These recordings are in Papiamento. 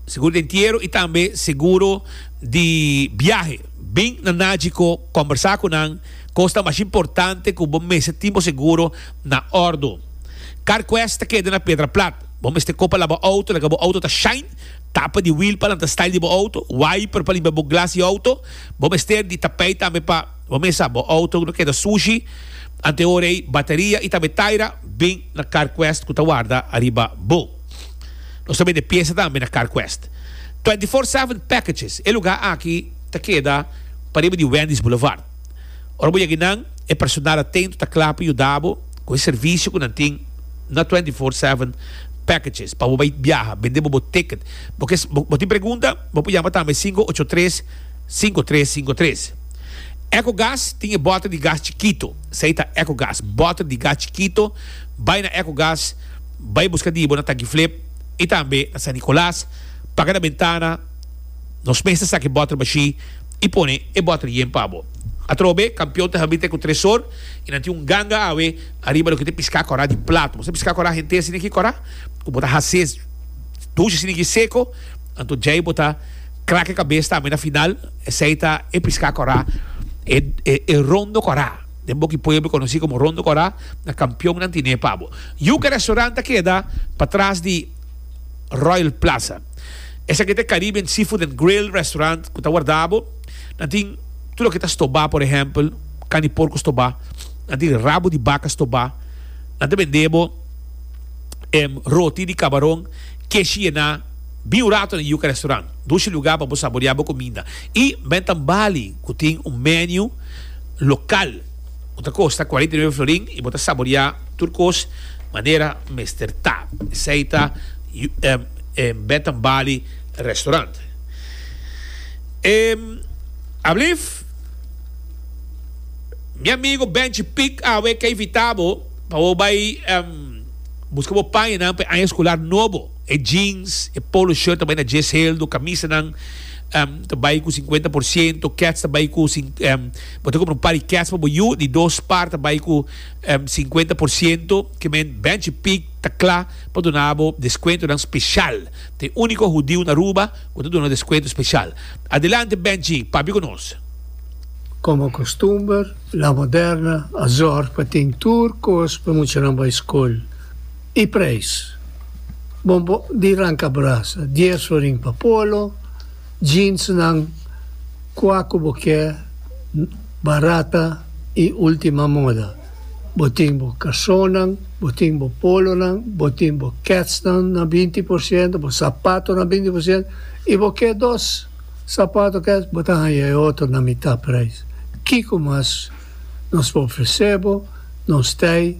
Seguro di entiero y tambe seguro di biahe. Bin na Nagico combersa cu nan cos ta mas importante cu bo mester tin bo seguro na ordo. Carquest ta keda na Pedra Plat. Bo mester kopa la bo auto, laga bo auto ta shine, tapa di wheel pa lanta style di bo auto, wiper pa limpia bo glas di auto. Bo mester di tapey tambe pa. Bo mesa, bo auto no keda sushi. Anteor ei Bateria i tambe Taira bin na Carquest ku ta warda ariba bo. Nos ta bende piesa tambe na Carquest. Twenty Four Seven Packages, e lugá aki ta keda pariba di Wendy's Boulevard. Ora bo yegi nan, e personal atentu ta kla pa yuda bo ku e servisio ku nan tin na Twenty Four Seven Packages pa bo bai biaha. Bende bo bo ticket. Bo tin pregunta? Bo por yama tambe cinco ocho tres. Sinku tres sinku tres. Eco gas tin e boter di gas chikito, esei ta eco gas. Boter di gas chikito bai na eco gas, bai buska dibo na Tankiflip i tambe na San Nicolas, paga na bentana, nos mes ta saka e boter bashi i pone e boter yen pa bo. Atrobe Kampion ta habri te ku Tresor i nan tin un ganga awe ariba loke ta e piska kora di plato. Bo sa piska kora henter sina ki kora ku bo ta hase dushi sina ki seko, anto djei bo ta. Krak e kabes tambe na final. Esei ta e piská kòrá, e rondo kòrá. Den Boki Pueblo konosí komo rondo kòrá, na kampion nan tine pa bo. Yuka Restaurant ta keda patras di Royal Plaza. Esaki ta e Caribbean Seafood and Grill Restaurant ku ta wardá bo. Nan tin tur loke ta stobá, por ehèmpel, kan di porku stobá. Nan tin rabu di baka stobá. Nan ta bendé bo roti di kabaron keshi yená. Bin un rato na Yuca Restaurant, dushi lugar pa bo saborea bo cuminda y menta un bali cu tin un menu local cu ta costa cuarenta y nueve florin y bo ta saborea tur cos manera mester ta. Esey ta menta un bali restaurant. Alblief, mi amigo Benchi Pick awe ke invita bo pa bo bay busca bo pañanan pa e aña escolar nobo. E jeans, e polo shirt ta bai na djes heldu, kamisanan ta bai ku sinkuenta por siento, kets ta bai ku, bo ta kumpra un par di kets pa bo yu, di dos par ta bai ku sinkuenta por siento. Ke men Bench i Peak ta kla pa duna bo deskuentonan speshal. Ta e úniko hudiu na Aruba ku ta duna deskuento speshal. Adelante Bench, papia ku nos. Komo kustumber, La Moderna a zòrg pa tin tur kos pa muchanan bai skol. E prijs. Bombo di ranca brasa, dies florin pa polo, jeansnan, cua cu bo kier, barata y ultima moda. Bo tin bo calzonnan, bo tin bo polonan, bo tin bo ketsnan na binti por ciento, bo sapato na binti por ciento y bo kier dos sapato kets bo ta haya e otro na mitad prijs. Kico mas. Nos ta ofresé bo nos tei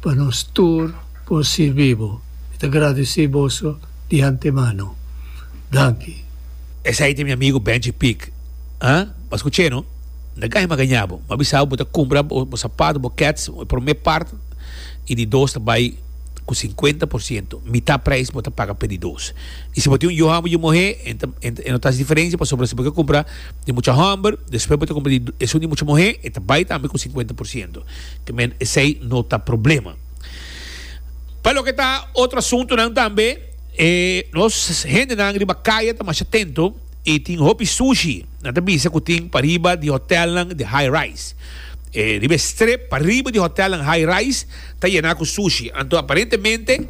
pa nos tur por sirbi bo. Mi ta gradesí boso di antemano. Danki. Esei ta mi amigu Benji Pick. Ha? Bo a skuch'é, no? N ta gaña magañá bo. Bo a bisa bo bo ta kumpra bo sapat, bo kets, e promé part, i di dos ta bai ku sinkuenta por siento, mitá preis bo ta paga p'e di dos. I si bo tin un yu homber, yu muhé, e no ta haci diferensia pasobra si bo ke kumpra, di mucha hòmber, despues bo ta kumpra di esun di mucha muhé, e ta bai tambe ku sinkuenta por siento. Ke men esei no ta problema. Pa loke ta otro asuntunan tambe, e nos hendenan riba kaya ta masha tento i tin hopi sushi, nan ta bisa ku tin pariba di hotèlnan di high rise. E riba e strip pariba di hotèlnan high rise ta yená ku sushi. Anto aparentemente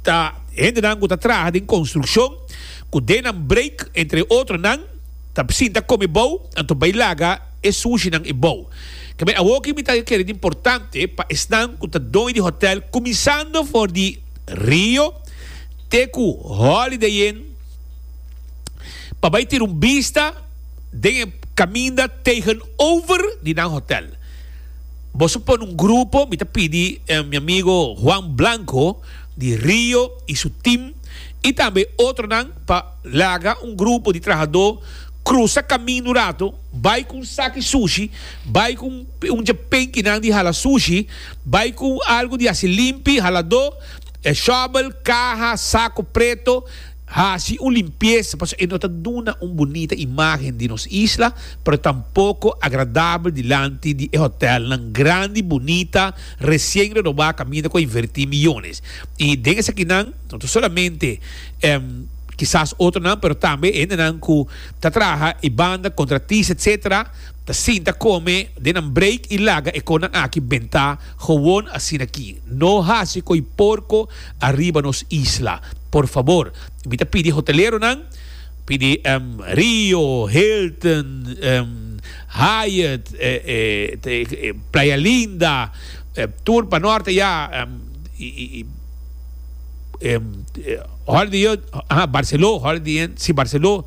ta hendenan ku ta traha den konstrukshon. cu denan break entre otro nan ta sinta come bou anto bay laga e sushi nan e bou kebe awo ki mi ta kere di importante pa esnan cu ta doño di hotel cuminsando for di Rio te cu Holiday Inn pa bay tira un bista den e caminda tegen over di nan hotel boso pone un grupo mi ta pidi mi amigo Juan Blanco. di Rio y su team y tambe otronan pa laga un grupo di trahadó crusa camin un rato, bay cu un saki sushi, bay cu un djepenkinan di hala sushi, bay cu algo di haci limpi, haladó, shovel, caha, saco preto, Hasi un limpiesa pasobra e no ta duna un bunita imágen di nos isla, pero tampoko agradabel dilanti di e hotèlnan grandi, bunita, resien renobá kaminda ku a invertí miyones. I den esakinan no ta solamente kisas otronan, pero tambe hendenan ku ta traha e banda, kontratis etsetera, ta sinta kome den nan breik i laga e konan aki bentá, Gewoon asin'aki. No hasi koi porko. ariba nos isla. Por fabor, mi ta pidi hoteleronan, pidi Rio, Hilton, Hyatt, Playa Linda, tur pa norte ya, Holiday Inn, aha, Barceló, Holiday Inn, si Barceló,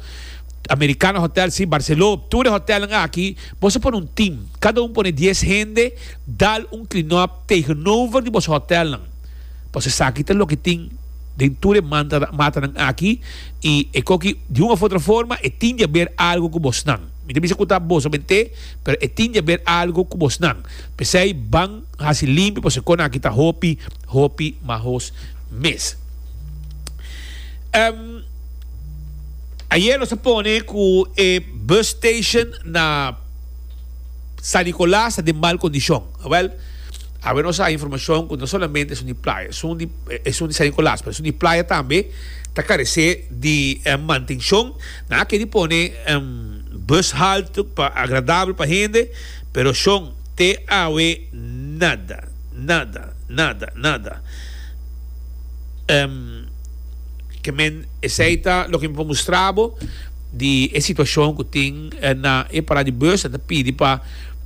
Americana Hotel, si Barceló, tur e hotelnan aki, boso pone un team, cada un pone dies hende, dal un clean up tegenover di boso hotelnan. Pasobra esaki ta loke tin den tur e matanan aki, i e koki di un of otro forma e tin di haber algo ku bosnan. Mi ta bisa ku ta boso mente, pero e tin di haber algo ku bosnan. P'esei ban hasi limpio, pasobra e konan'aki ta hopi, hopi mahos mes. Ehm, Ayer nos a pone ku e bus station na San Nicolas ta den mal kondishon. Awèl. Awe nos a informacion cu no solamente esun di playa esun di esun di San Nicolas pero esun di playa tambe ta carece di mantencion. Nan a keri pone bus halte pa agradabel pa hende pero Shon te awe nada, nada, nada, nada. Ke men esey ta loke mi por mustrabo di e situacion cu tin na e parada di bus nan ta pidi pa.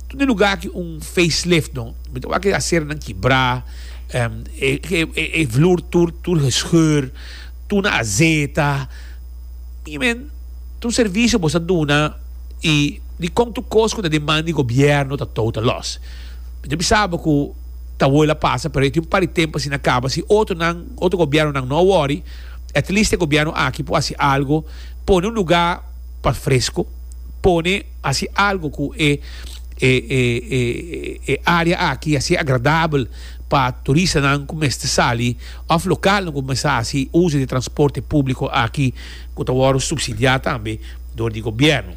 Tur di lugar aki un facelift no mi ta wak e aseronan kibra e vloer tur tur gescheurd tuna a zeta mi men tur servicio boso a duna y di con tur cos cu ta demand di gobierno ta tou ta los mi ta bisa bo cu ta wol a pasa pero e tin un par di tempo asina caba si otro nan otro gobiernonan no a worry at least e gobierno aki por haci algo pone un lugar pa fresco pone Hasi algo cu e e area aki a ser agradabel pa turistanan cu mester sali of localnan cu mester hasi uzo di transporte publico aki cu ta wordo subsidia tambe door di gobierno.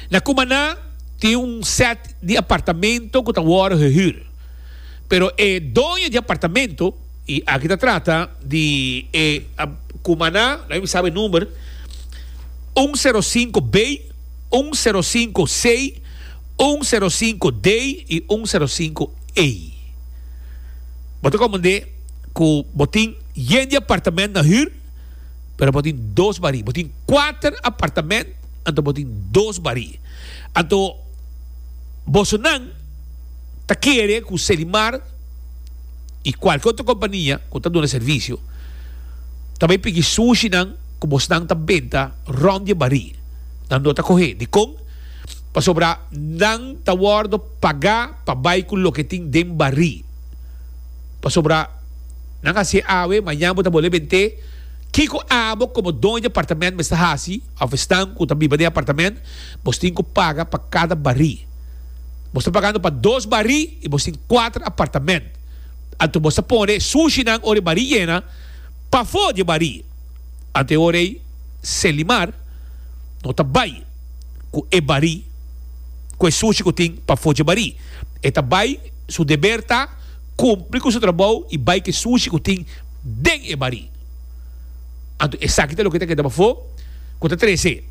Na Cumaná tin un set di apartamento cu ta wordo gehuur pero e doño di apartamento. Y aki ta trata di e cumaná, no hay mi sabe number, un cero cinco B, un cero cinco C, un cero cinco D y un cero cinco E. Bo ta comandé cu bo tin yen di apartamento na huur, pero bo tin dos barí. Bo tin cuater apartamento, anto bo tin dos barí. Anto bosonan ta kere cu Selimar. y cualkier otro compania cu ta duna servicio ta bay piki sushi nan cu bos nan ta benta rond di e bari nan no ta coge dicon? pasobra nan ta wordo paga pa bay cu loke tin den bari pasobra nan haci'e awe mañana bo ta bole bent'e kico abo como doño di apartamento mester haci of esnan cu ta biba den apartamento bos tin cu paga pa cada bari. Bo sta pagando pa dos barí i bo tin kuater apartamènt. Anto bo sta pone e sushinan ora e barí yena pafó di e barí. Anto e ora ei Selimar no ta bai ku e barí ku e sushi ku tin pafó dje barí. E ta bai, su deber ta kumpli ku su trabou i bai ku e sushi ku tin den e barí. Anto esaki ta loke ta keda pafó ku ta trese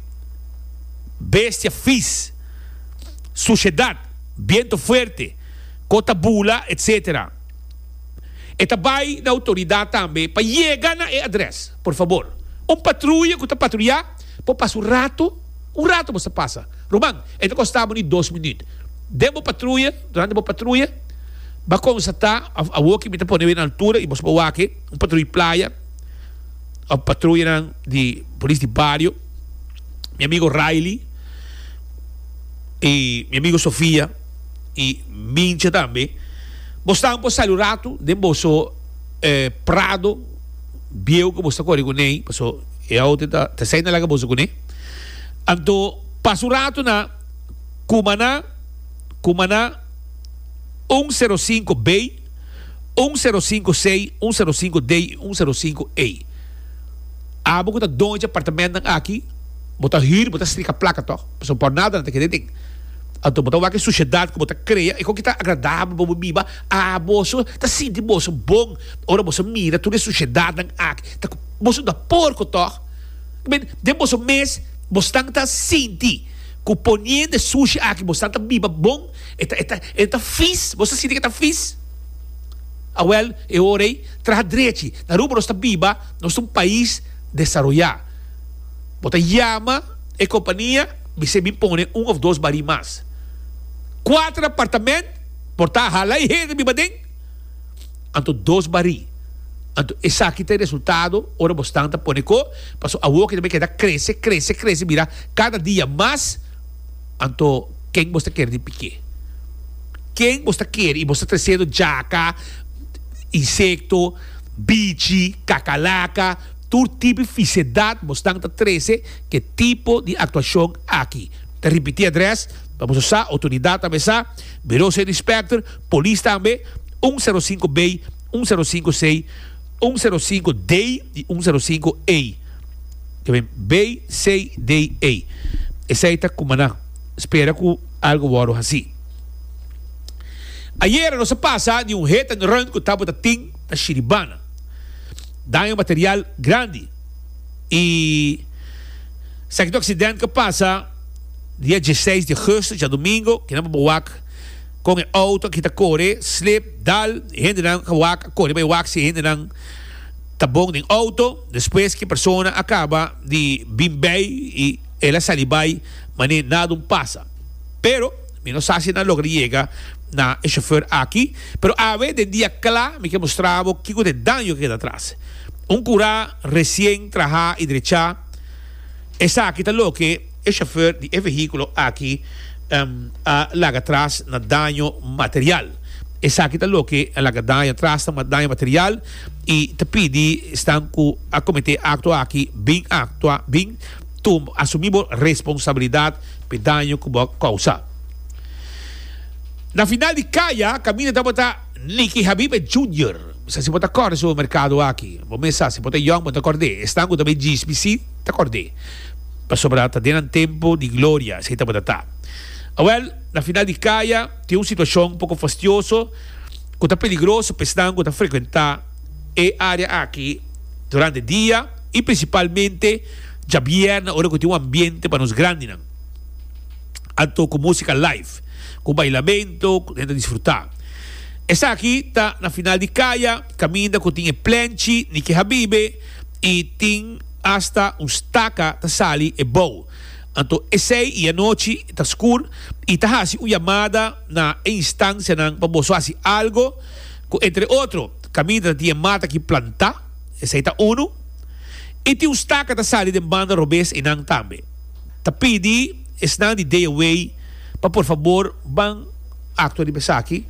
bestia vis. Suciedad, biento fuerte, co ta bula, etc. E ta bay na autoridad tambe pa yega na e adres. Por fabor, un patruya cu ta patruya por pasa un rato, un rato bo sa pasa, ruman, e ta costa bo ni dos minuut. Den bo patruya, durante bo patruya, bo a constata, of awoki mi ta pone awe na altura y bo sa bo wak e, un patruya di playa, of patruyanan di polis di bario. mi amigo Riley y mi amigo Sofia y Mincha tambe bo stan por sali un ratu den boso eh prado bieu cu bo sta cori cune paso e auto ta ta esai na laga boso cune anto pasa un ratu na Cumana Cumana un sero sinku B un sero sinku C un sero sinku D y un sero sinku E. Abo cu ta doño dje apartamentnan aki, bo ta hür, bo ta strika placa toch? Pasobra por nada nan ta kere den. Anto bo ta wak e suciedad cu bo ta crea, e con ki ta agradabel pa bo biba, aboso ta sinti boso bon ora boso mira tur e suciedadnan aki, ta cu boso ta porco toch? I men, den boso mes bosnan ta sinti cu poniendo e sucia aki bosnan ta biba bon, e ta, e ta, e ta vis, boso ta sinti cu e ta vis? Awel, e ora ey, traha drechi, na Aruba nos ta biba. Nos ta un pais desaroyá. Bo ta yama e kompania bisé bin pone un òf dos barí mas. Kuater apartament por ta hala e hende biba den, anto dos barí. Anto esaki ta e resultado ora bo stan ta pone ko paso awoki ta bin keda krese, krese, krese bira kada dia mas. Anto ken bo sta kere di pik'é? Ken bo sta kere i bo sta tresendo djaka, insekto. bichi, kakalaka, tur tipi fisedat bosnan ta trese ke tipo di aktuashon aki. Ta ripití adrès pa boso sa, Outoridat ta mesa, Buro Seni Inspekter, Polis tambe, un sero sinku bey, un sero sinku sey, un sero sinku dey i un sero sinku ey. Ta bin bey, sey, dey, ey. Esei ta kuma nan spera ku algu wòrdu hasí. Ayera nos a pasa di un hit and run ku tabata tin na Shiribana. Daño material grandi i esaki tur aksident ku a pasa dia diesseis di augusto, djadumingu, ke nan por bo wak kon e outo a kita kore, slip, dal, e hendenan a wak a kore pa e wak si e hendenan ta bon den outo, despues ki persona a kaba di bin bei i el a sali bai mane nada un pasa. pero mi no sa si nan logra yega na e chauffeur aki, pero awe den dia cla mi ke mustra bo kico t'e daño ke keda atras. Un cura recien traha y drecha, esaki ta loke e chauffeur di e vehiculo aki a laga atras na daño material. Esaki ta loke a laga daño atras na daño material y ta pidi esnan cu a comete acto aki bin actua, bin asumi bo responsabilidad. p'e daño ku bo a kousa. Na final di kaya, kaminda tabata Nicky Habibe Junior. Mi sa si bo ta kòrda supermerkado aki. Bo mes sa, si bo ta yòn bo ta kòrd'é. Esnan ku ta bai djis mi si ta kòrd'é. Pasobra ta den nan tempu di gloria esei tabata ta. Awèl, na final di kaya tin un situashon poko fastioso ku ta peligroso p'esnan ku ta frekuentá e área aki durante dia. y principalmente djabièrnè ora cu tin un ambiente pa nos grandinan anto cu musica live, cu bailamento, cu nen ta disfruta. Esaki ta na final di caya, caminda cu tin e plenchi ni ke habibe y tin hasta un staca ta sali e bou. Anto esey y anochi ta scur y ta haci un yamada na e instancianan pa boso haci algo cu entre otro caminda ta tin e mata aki planta, Esei ta unu. I tin un staka ta sali den banda robes einan tambe. Ta pidi esnan di Dea Way pa por fabor ban aktua riba esaki,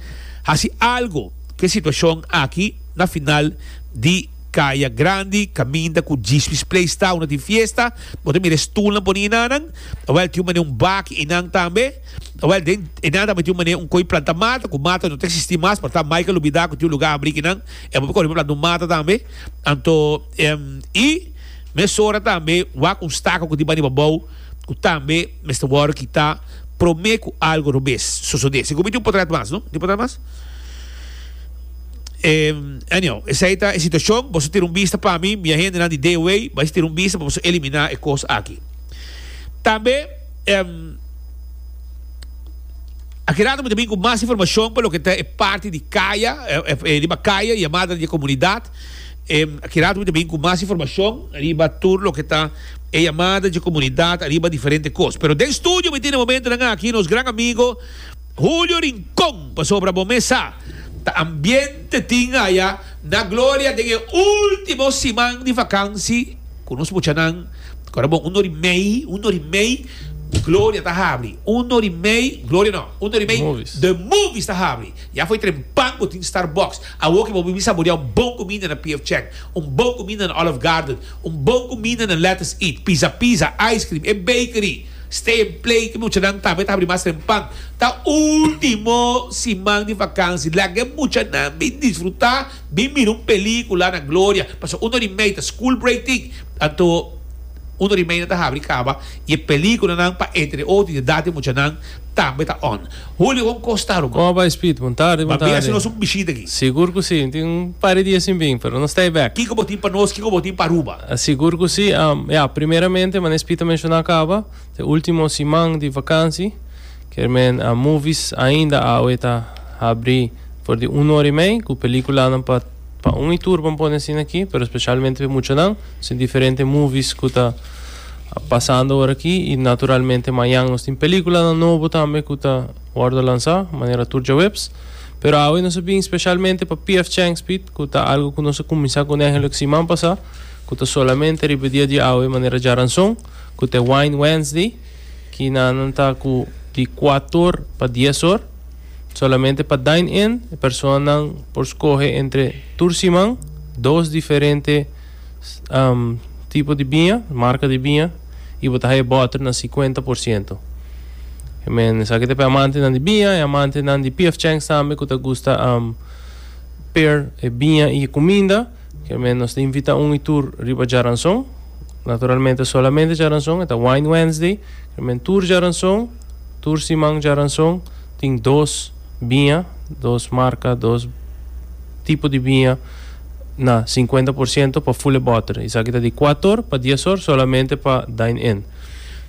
hasi algu ku e situashon aki na final di Kaya Grandi kaminda ku G-Swiss Place ta, unda tin fiesta. Bo ta mira e stulnan pone enanan. Awèl tin un manera un baki einan tambe. Awèl den einan tambe tin un manera un koi planta mata ku mata no ta eksistí mas, por ta Michael Lubida ku tin un lugá habrí ku nan. E por kore por planta un mata tambe. Anto i mesora tambe wak un staka ku tin bani pa bou ku tambe mester wòrdu kitá promé ku algu otro bes sosodé. Sigur mi tin un potrèt mas no? Mi tin un potrèt mas? Anyhow, esei ta e situashon. Boso tira un bista pa mi, mi a hendenan di DOA bai tira un bista pa boso eliminá e kos aki. Tambe. Aki rato mi ta bin ku mas informashon pa loke ta e parti di kaya, riba kaya i e madre di e komunidat. Aki rato mi ta bin ku mas informashon riba tur loke ta e yamada di e komunidat riba diferente kos. Pero den studio mi tin e momentonan aki nos gran amigo Julio Rincon, pasobra bo mes sa ta ambiente tin aya na Gloria den e ultimo siman di vakansi ku nos mucha nan. Kora bon, un or i mei, un or i mei, Gloria ta habri. Un or i mei, Gloria no, un or i mei, The Movies ta habri. Ya foi trem pan bo tin Starbucks. Awor ke bo bin saboreá un bon kuminda na PF Chang, un bon kuminda na Olive Garden, un bon kuminda na Let Us Eat, Pizza Pizza, ice cream, e bakery, Stay and Play, ke muchanan tambe ta habri mas trem pan. Ta último siman di vakansi. Laga e muchanan bin disfrutá. Bin mira un pelicula na Gloria pasobra uno di mei ta school break tin anto uno di meinan ta habri caba y e pelicula nan pa entre e otro y edad di mucha nan tambe ta on Julio con cos ta ruman. Como bai Speed? Bon tarde bon tarde. Ban bin haci nos un bishita aki. Sigur cu si, tin un par di dia sin bin, pero no stay back. Kico bo tin pa nos, kico bo tin pa Aruba? Sigur cu si, ya, primeramente, manera Speed a menciona caba, ta e ultimo siman di vakansi. Kermen a movies ainda awe ta habri for di un ora y mei cu peliculanan pa pa un y tur bon pone asina aki pero specialmente pe muchanan so diferente movies cu ta a pasando ora aki y naturalmente mayan nos tin peliculanan nobo tambe cu ta wordo lansa manera tur djaweps pero awe nos a bin specialmente pa PF Chang Speed cu ta algo cu nos a cuminsa cu nehei loke siman pasa cu ta solamente riba dia di awe manera djaranson cu ta e Wine Wednesday. Kinanan ta ku di kuat or pa dies or. Solamente pa dine-in e personanan por skohe entre tur siman dos diferente tipo di biña, marka di biña, i bo ta haya bòter na sikuenta por siento. I men esaki ta p'e amantenan di biña i amantenan di PF Chang's tambe ku ta gusta per e biña i e kuminda. Ke men nos ta invita un y tur riba djaranson. Naturalmente solamente djaranson e ta Wine Wednesday. Ke men tur djaranson, tur siman djaranson tin dos biña, dos marka, dos tipo di biña na sinkuenta por siento pa fule bòter. Esaki ta di kuat or pa dies or solamente pa dine-in.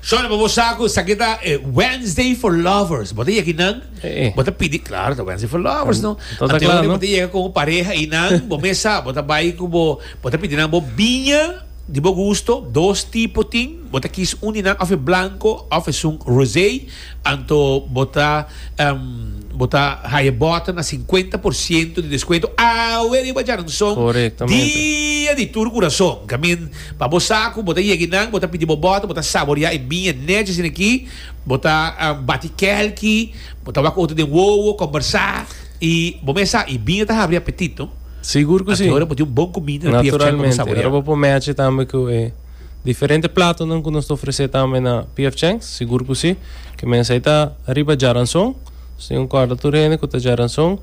Shorty, pa bo sa ku esaki ta e Wednesday for lovers. Bo ta yeki nan? Eh. Bo ta pidi, claro, ta wensen for lovers, no? Todo Ante claro, un no? bo ta yega ku bo pareha i nan, bo mes sa, bo ta bai ku bo, bo ta pidi nan bo biña di bo gusto, dos tipo tin, bo ta kis un di nan òf e blanko òf esun rosé, anto bo ta em bo ta haya bòter na sinkuenta por siento di deskuento awe riba djaranson Korektamente. dia di tur kurason. I mean, pa bo sa ku bo ta yega i nan, bo ta pidi bo bòter, bo ta saboreá e biña netjes den aki, Bo ta bati kelki, bo ta wak otro den wowo, kombersá i bo mes sa i bini ta habri apetit, no? Sigur ku si. Anto ora bo tin un bon kumida na PF Chang pa bo saboreá. Naturalmente. Ora bo por mèche tambe ku e diferente platonan ku nos ta ofresé tambe na PF Chang, sigur ku si. Ke mens ei ta riba Jaranson. Nos tin un kòrda tur hende ku ta Jaranson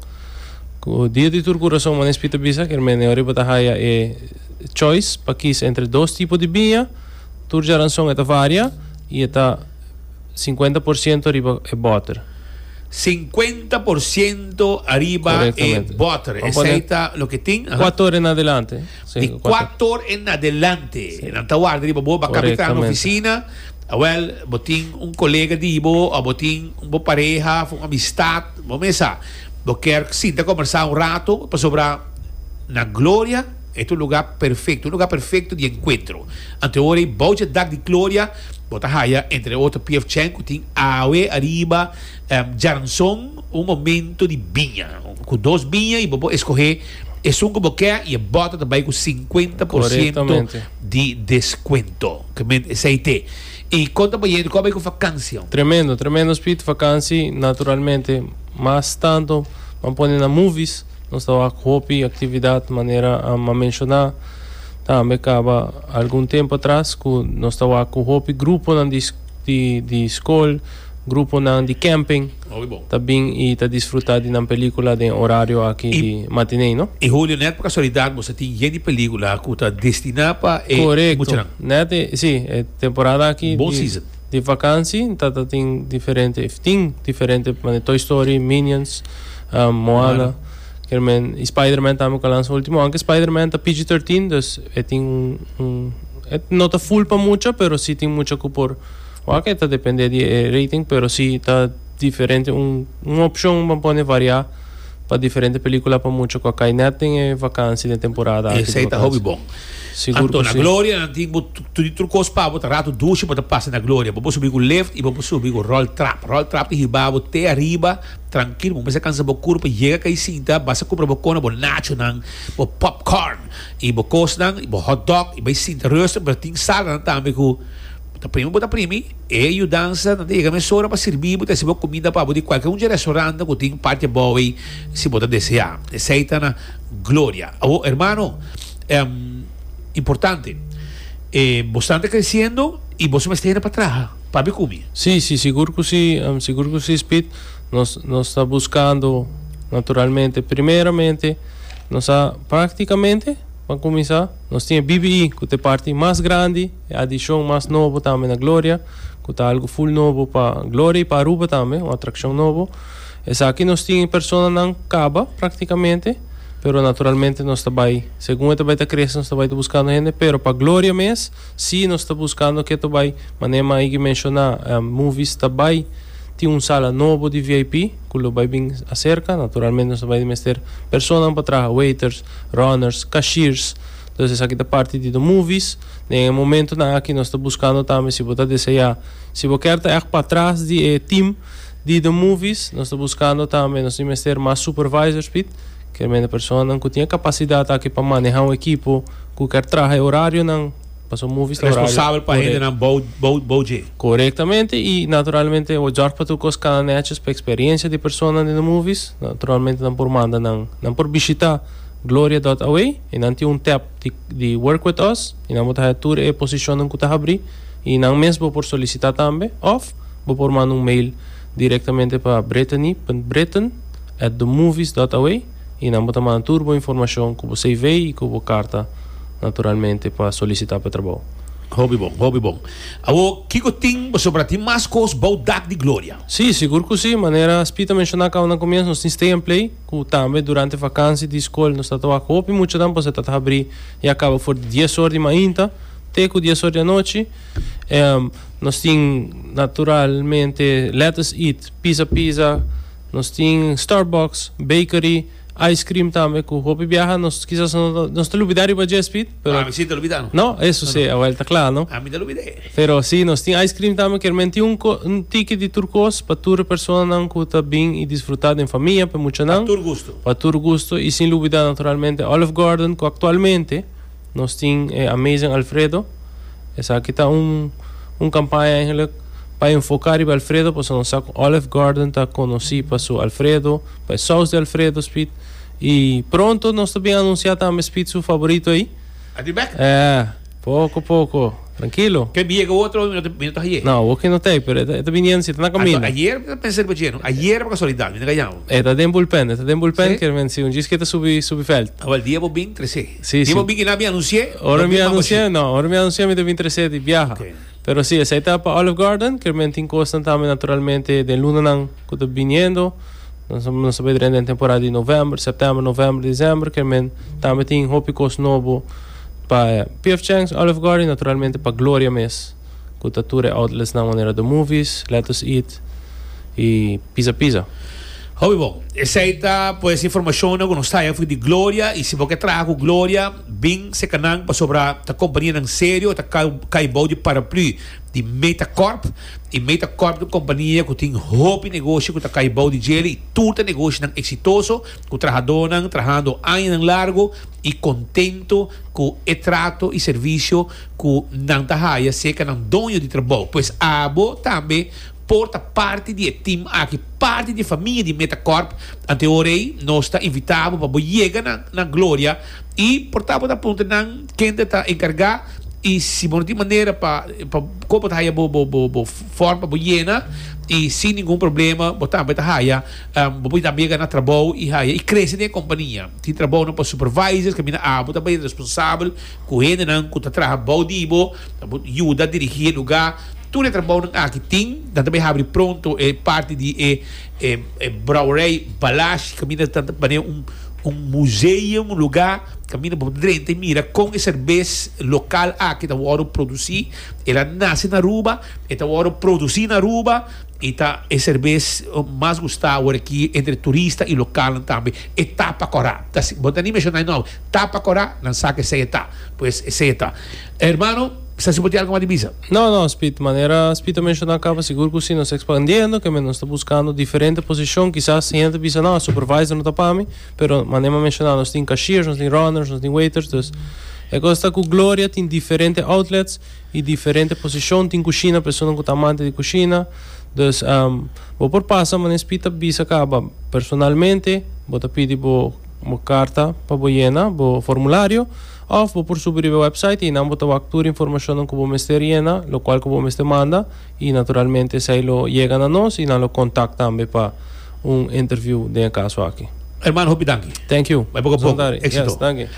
ku dia di tur kurason Manespi ta bisa ke mene ora bo ta haya e choice pa kis entre dos tipo di biña, tur Jaranson e ta varia. I e ta sinkuenta por siento riba e bòter. Sinkuenta por siento ariba e bòter. Esei ta loke tin. Kuato or en adelante. Di kuato or en adelante. Nan ta warda riba bo. Bo kapit traha na ofisina. Awel, bo tin un kolega di bo, òf bo tin bo pareha òf un amistat. Bo mesa. Bo kier sinta kombersá un rato. Pasobra na gloria. E ta un lugá perfekto, un lugá perfekto di enkuentro. Anto ora ei bou dje dak di gloria bo ta haya, entre otro, piefchèn ku tin awe ariba, djaranson, un momento di biña ku dos biña i bo por eskohé esun ku bo kè i e bòta ta bai ku sinkuenta por siento di deskuento. Kamente esei te. I kon ta baña enta ku a bai ku vakansia? Tremendo, tremendo spiritu vakansi, naturalmente mas tantu nan pone na movies. Nos ta wak hopi actividad manera a mamenshona tambe caba algun tempo atras cu nos ta wak cu hopi gruponan di scol, gruponan di camping ta bin y ta disfruta di nan pelicula den e horario aki di matinee no. Y Julio net pa casualidad boso tin yen di pelicula cu ta destina pa e muchanan. Correcto net e si e temporada aki di. Di vakansi ta ta tin diferente of tin diferente mane Toy Story, Minions, um, Moana, ker men i Spider-Man tambe ku a lansa ultimo, aunke Spider-Man ta PG-13, dus e tin un un e no ta full pa mucha, pero si tin mucha ku por wak, e ta depende di e rating, pero si ta diferente un un opshon pa pone variá. Pa diferente pelicula pa mucha cu a cay net den e vakantie den temporada aki di vakantie. Esey ta hopi bon. Sigur cu si. Anto na Gloria nan tin bo tudito cos pabo ta rato dushi bo ta pasa na Gloria. Bo por subi cu lift y bo por subi cu roll trap. Roll trap ta hiba bo te ariba trankil. Bo mester cansa bo curpa yega cay sinta. Basta cumpra bo cono, bo nacho nan, bo popcorn y bo cos nan y bo hot dog y bay sinta rustig. Pero tin sala nan tambe cu. Ta primi bo ta primi, e yudansa nan ta yega mesora pa sirbi bo, ta hasi bo kumida pa bo di kualke un dje restorannan ku tin parti abou ei si bo ta deseá. Esei ta na gloria. Awor, hermano, importante, bo stan ta kresiendo i boso mester hende pa traha, papia ku mi. Sí, sí, sigur ku sí, sigur ku sí, Speed. Nos, nos ta buskando, naturalmente, primeramente nos a praktikamente pa kuminsá. Nos tin e BBI cu ta e parti mas grandi, e adicion mas nobo tambe na Gloria, cu ta algo full nobo pa Gloria y pa Aruba tambe, un atraccion nobo. Esaki nos tin e personanan caba practicamente, pero naturalmente nos ta bay, segun e ta bay ta crece nos ta bay ta buscando hende, pero pa Gloria mes si nos ta buscando ke ta bay, manera mi a higi menciona, Movies ta bay tin un sala nobo di VIP cu lo bay bin acerca, naturalmente nos ta bay ta mester personanan pa traha, waiters, runners, cashiers. Entonces esaki ta parti di nos movies. Den e momentonan aki nos ta buscando tambe si bo ta desea, si bo kier ta echt patras di e team di nos movies, nos ta buscando tambe, nos tin mester mas supervisors pit, kermende personanan cu tin e capacidad aki pa maneha un equipo cu kier traha e horarionan. Paso movies ta horario. Responsabel pa hendenan bou, bou, bou dje. Korektamente i naturalmente bo jòrg pa tur kos kana nètjes pa eksperiencia di personanan den e movies. Naturalmente nan por manda nan, nan por bishita Gloria dòt away i nan tin un tèp di di Work With Us i nan bo ta haña tur e posishonnan ku ta habrí i nan mes bo por solisitá tambe òf bo por manda un mail direktamente pa Brittany punt Britten at themovies dòt away. y nan bo ta manda tur bo informacion cu bo cv y cu bo carta naturalmente pa solicita pa e trabao. Hopi bon, hopi bon. Awor, kico tin pasobra tin mas cos bao Dak di Gloria? Sí, sigur cu sí. Manera Spy ta menciona caba na comienzo, nos tin Stay and Play, cu tambe durante vakantie di scol nos ta tabaha cu hopi muchanan pasobra ta habri ya caba for di dies or di mainta te cu dies or di anochi. Nos tin naturalmente Let Us Eat, Pizza Pizza. Nos tin Starbucks, bakery, ice cream tambe cu hopi biaha nos kisas nos ta lubida riba dje Speed, pero. No, ami si ta lubida no. No? Eso si e awel ta cla, no? Ami ta lubida e. Pero si, nos tin ice cream tambe, kier men tin un co, un tiki di tur cos pa tur e personanan cu ta bin y disfruta den famia, p'e muchanan. Pa tur gusto. Pa tur gusto y sin lubida naturalmente Olive Garden cu actualmente. Nos tin e Amazing Alfredo. Esaki ta un, un campaña eigenlijk pa enfoca riba Alfredo, pasobra nos sa cu Olive Garden ta conoci pa su Alfredo, pa e saus di Alfredo, Speed. Y pronto nos ta bin anuncia tambe Speed su favorito ahi. A di bek? Eh, poco poco. Tranquilo. Ke bier ke otro mi no ta haye? No, awor ke no ta hay, pero e ta bini en si, e ta na caminda. Anto ayer mi ta pensa riba dje, no? Ayer pa casualidad mi no ka yama. E ta den bulpen, e ta den bulpen, kier men si un djis ke ta subi, subi veld. Awor el dia bo bin trece. Si, si. Bo bin kina bin anunsié? Ora mi anunsié, no. Ora mi anunsié mi ta bin tresé di biaha. Pero si, esei ta pa Olive Garden, ker men tin kosnan tambe naturalmente den lunanan ku ta biniendo. Nos a bidra en den temporada di novèmber, sèptèmber, novèmber, desèmber, ker men tambe tin hopi kos nobo pa PF Chang's, Olive Garden i naturalmente pa Gloria mes. ku ta tur e outletsnan manera The Movies, Let Us Eat i Pizza Pizza. Hopi bon. Esei ta pues informashonnan ku nos ta haña di Gloria i si bo ke traha ku Gloria bin seka nan pasobra ta kompanianan serio e ta kai bou di paraplu di Metacorp i Metacorp ta un kompania ku tin hopi negoshi ku ta kai bou di djeli i tur ta negoshinan eksitoso ku trahadónan trahando añanan largu i kontentu ku e trato i servisio ku nan ta haya serka nan doño di trabou. Pues abo tambe por ta parti di e tim aki, parti di e famia di Metacorp. Antehoraey nos ta invita bo pa bo yega na na Gloria i por ta bo ta puntra nan kende ta enkarga i si bo no tin manera pa pa kon bo ta haya bo bo bo form pa bo yena i sin ningun problema bo tambe ta haya bo por tambe yega na trabou i haya i krese den e kompania. Tin trabounan pa supervisors kaminda abo ta bay responsabel Ku hendenan ku ta traha bou di bo, nan por yuda dirigí e lugá. Tur e trabounan aki tin, nan ta bai habri pronto e parti di e e brouwerij, balashi, kaminda nan ta bane un un museum, un lugá kaminda bo por drenta i mira kon e serbes lokal aki ta wòrdu produsí. El a nase na Aruba, e ta wòrdu produsí na Aruba i ta e serbes mas gustá awor aki entre turista i lokalnan tambe. E tapa kòrap, ta así. Bo ta ni menshoná e nòmber. Ta pa cora nan sa cu esey e ta. Pues esey e ta. Hermano, sa si bo tin algo mas di bisa? No, no, Spit. Manera Spit a menciona caba, sigur cu si nos ta expandiendo, que men nos ta buscando diferente posicion. Kisas hende ta bisa, No, supervisor no ta pa mi. Pero manera a menciona, nos tin cashiers, nos tin runners, nos tin waiters. Dus, e cos ta cu Gloria tin diferente outlets y diferente posicion. Tin cushina, personanan cu ta amante di cushina. Dus, bo por pasa, manera Spit a bisa caba, personalmente bo ta pidi bo. bo karta pa bo yena bo formulario òf bo por subi riba e wèpsait i nan bo ta wak tur informashonnan ku bo mester yena lokual ku bo mester manda i naturalmente esei lo yega na nos i nan lo kontak tambe pa un interviu den e kaso aki. Hermano hopi danki. Thank you. Bai poko a poko. Sondari. Yes, Exito. danki.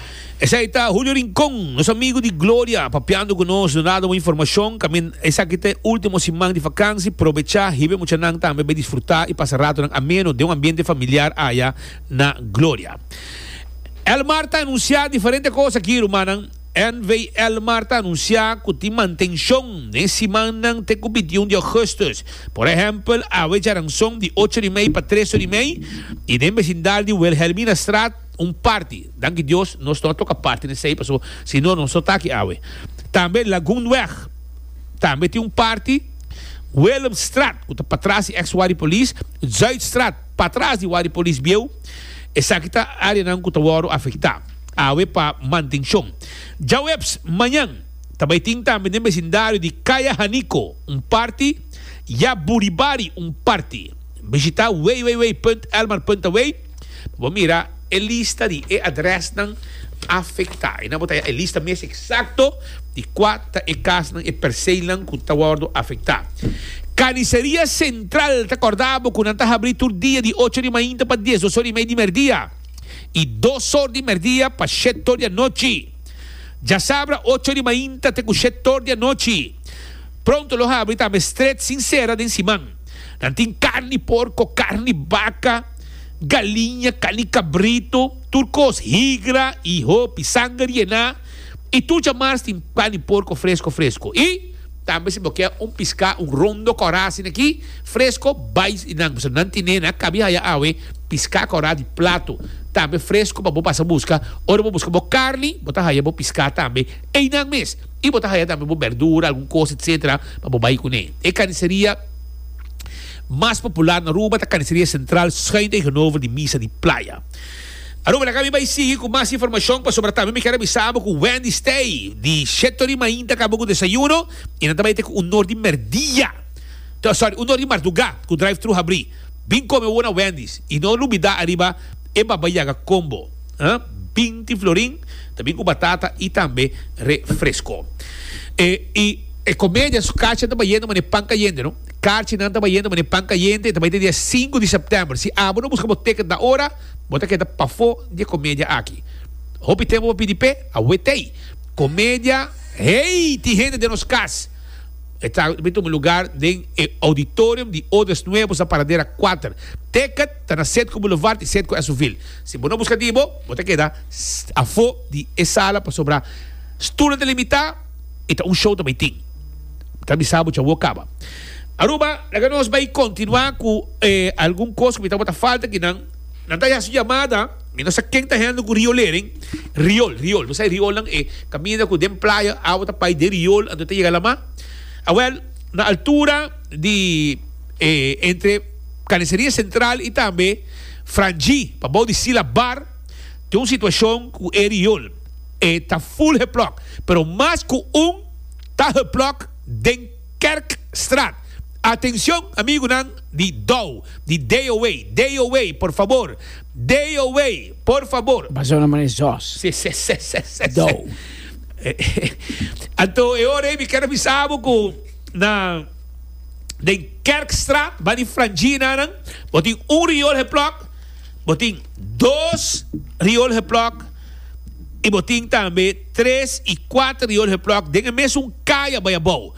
Esei ta Julio Rincon, nos amigu di Gloria, papiando ku nos, donando bo informashon. Kaminda esaki ta e último siman di vakansi, probechá, hiba e muchanan tambe bai disfrutá i pasa ratonan ameno den un ambiente familiar aya. na gloria. Elmar ta anunsiá diferente kos aki, rumannan. NV, Elmar ta anunsiá ku tin mantenshon den simannan te ku bintiún di ògùstùs. Por ehèmpel, awe Jaranson di ocho di mei pa tres or di mei i den besindal di Wilhelminastraat un parti. Danki Dios nos no a toka parti na esei pasobra si no nos no ta aki awe. Tambe Lagunweg tambe tin un parti. Willemstraat ku ta patras di eks Waripolis. Zuidstraat. Patras di Wadi Polis Bieu, esaki ta areanan ku ta wòrdu afektá awe pa mantenshon. Djaweps mañan ta bai tin tambe den besindario di Kaya Haniko un parti ya Buribari un parti. Bishitá www.elmar.away pa bo mira e lista di e adrèsnan afektá. Ei nan bo ta ya e lista mes eksakto. Di kua ta e kasnan, e perseinan ku ta wòrdu afektá? Kaniseria Sentral ta kòrda bo ku nan ta habrí tur dia di ocho di mainta pa dies dos or i mei di mèrdia i dos or di mèrdia pa shet or di anochi. Djasabra ocho di mainta te ku shet or di anochi. Pronto lo habrí tambe stret sin sera den siman. Nan tin karni porko, karni baka, galiña, karni kabritu, tur kos, higra i hopi, sanger yená. i tur djamars tin pan di porko fresko fresko i tambe si bo kier un piská un rondo kòrá asina aki fresko bai di nan pasobra nan tine nan a kabi haya awe piská kòrá di plato tambe fresko pa bo pasa buska ora bo buska bo karni bo ta haya bo piská tambe einan mes i bo ta haya tambe bo bèrdura algun kos etcetera pa bo bai kuné e kaniseria mas popular na Aruba ta kaniseria sentral schuin tegenover di misa di playa. Aruba laga mi bai sigui ku mas informashon pasobra tambe mi kier a bisa bo ku Wendy Stay di Sheto di Main ta kaba ku desayuno i nan ta bai te ku un or di merdia to sòri un or di mardugá ku drive thru habrí bin kome awor na Wendy's i no lubidá ariba e Baba Yaga Combo ha binti florin ta bin ku batata i tambe refresko e i e komedia su kachi ta bayendo manera pan kayente no karchi nan ta bayendo manera pan kayente ta bai te dia sinku di sèptèmber si abo no buska bo tèkèt ta ora. Bo ta keda pafó di e komedia aki. Hopi tempu pa pidi p'e, a wet'ey. Komedia Hey! tin hende den nos kas. E trago bin tuma lugar den e Auditorium di Odes Nuevos na Paradera kuater. Ticket ta na Setco Boulevard i Setco Esovil. Si bo no buska di bo, bo ta keda afó di e sala pasobra stulnan ta limitá i ta un show ta bay tin. Ta bisa bo djawo kaba. Aruba, laga nos bai kontinuá ku e algun kos ku mi ta wak ta falta aki nan. Nan ta hasi yamada, mi no sa ken ta hende ku riolering, riol, riol, nos sa e riolnan e kaminda ku den playa awa ta pai den riol anto e ta yega lamá. Awèl, na altura di e entre Carniceria Central i tambe Frangí, pa bou di Sila Bar, tin un situashon ku e riol e ta full geplòk, pero mas ku un ta geplòk den. Kerkstraat. Atencion amigunan di Dou, di DOA, DOA, por fabor, DOA, por fabor. Basa una mane zos. Se se se se se Dou. Anto e ora ei mi ker a bisabo ku na den Kerkstraat bani Frangina nan bo tin un riol heplòk, bo tin dos riol heplòk. I bo tin tambe tres i kuater Jorge Plok den e mesun kaya bai abou.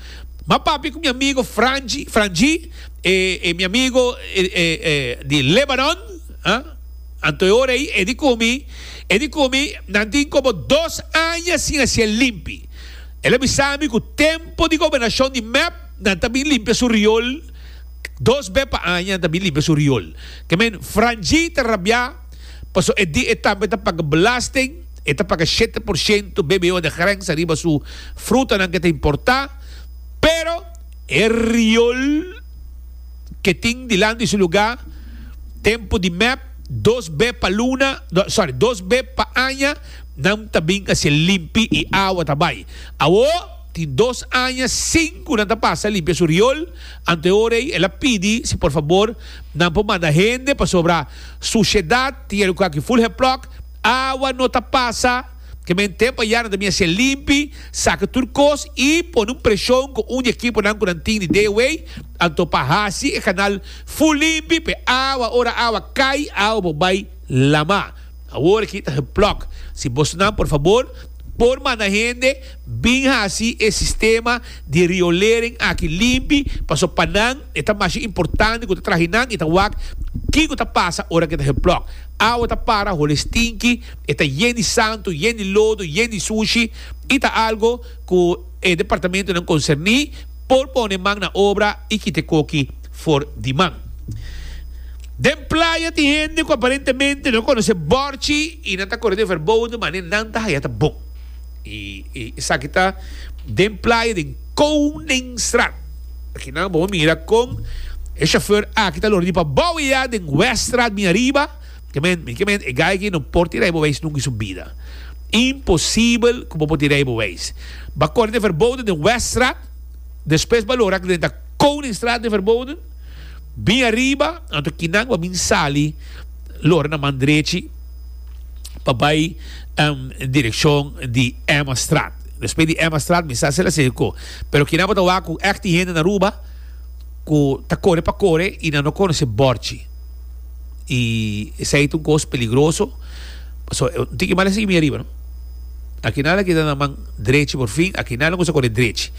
Ma papia ku mi amigo Franji, Franjie, e, e mi amigo, e, e, e di Lebanon, ha? Anto e ora ei, e di ku mi, e di ku mi, nan tin komo dos aña sin hasié limpi. El a bisa mi ku tempu di gobernashon di mep nan ta bin limpia su riol, dos be pa aña nan ta bin limpia su riol. Ke men, Franjie ta rabiá. Paso e di e tambe ta paga belasting, e ta paga shete por shento bbo de grensa riba su frutanan ke ta importa, pero e riol ke tin dilanti su luga tempu di mep dos be pa luna, sorry, dos be pa aña nan ta bin hacié limpi y awa ta bai. Awo tin dos aña sin cu nan ta pasa limpia su riol, anto e ora ey el a pidi si por fabor nan por manda hende pasobra, Suciedad tin e lugar aki full hep block, awa no ta pasa, ke men tempo a yara nan ta bini haci'e limpi, saca tur cos y pone un presion cu un di ekiponan cu nan tin di Deeway, anto pa haci e canal full limpi p'e awa, ora awa cay, awa bo bay lama. Awor aki ta hep block, si bosnan por fabor por manda hende, Bin hasi e sistema di riolering aki limpi, pasobra pa nan e ta masha importante ku ta traha nan i ta wak kiko ta pasa ora ku e ta hel plòk. Awa ta para holi stinki, e ta yen di santu, yen di lodo, yen di sushi i ta algo ku e departamentunan konserní por pone man na obra i kita e koki for di man. Den playa tin hende ku aparentemente no konosé bòrchi i nan ta kore den verbodo, mane nan ta haya ta bon. Y esaki ta den playa den Koningstraat. Akinan bo mira con e chauffeur aki ta loor di pa bou y ya den Weststraat bin ariba. Kemen, mi kemen, e guy aki no por tira e beweis nunca in su bida. Imposibel cu bo por tira e beweis. Ba corri den verboden den Weststraat, despues ba loora den ta Koningstraat den verboden, bin ariba, anto kinan bo a bin sali loora na man drechi. pa bai en direccion di Emma Straat. Despues di Emma Straat mi sa sera seco. Pero kinan bo ta wak cu ect y hende na Aruba cu ta core pa core y nan no conoce Borchi. Y esey ta un cos peligroso. Paso un tiki mal a sigui mi ariba no. Aki nan a keda nan man drechi por fin. Aki nan lo cuminsa core drechi.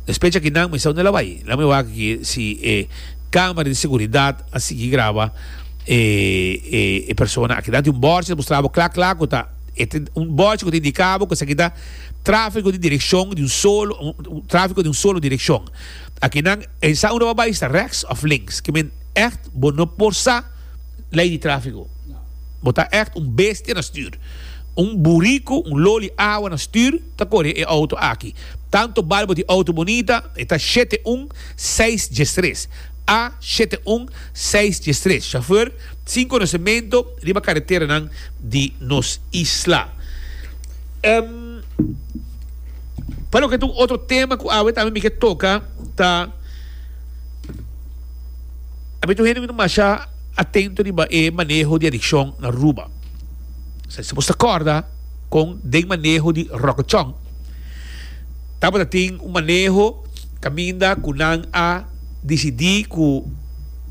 Despues di aki nan mi sa unda el a bai. Lami wak aki si e camera di seguridad a sigui graba. E e persona a keda di un bòrd, e ta mustra bo kla kla ku ta e ta un bòrd ku ta indika bo ku esaki ta tráfiko di direkshon di un solo tráfiko di un solo direkshon. A ki nan e sa unda bo a bai ta rèks òf links. Ki men ègt bo no por sa lei di tráfiko. Bo ta ègt un bestia na stür. Un buriku, un loli awa na stür ta kore e outo aki. Tantu bal bo di outo bunita, e ta shete un seis djestres. A shete un seis dies tres Chauffeur sin konosementu riba kareteranan di nos isla Em Pa loke ta un otro tema ku awe tambe mi ke toka ta Awe tur hende no ta masha atento riba e maneho di adikshon na Aruba Esaki ta kòrda kon den maneho di ròkechon. Tabata tin un maneho caminda cu nan a dicidi cu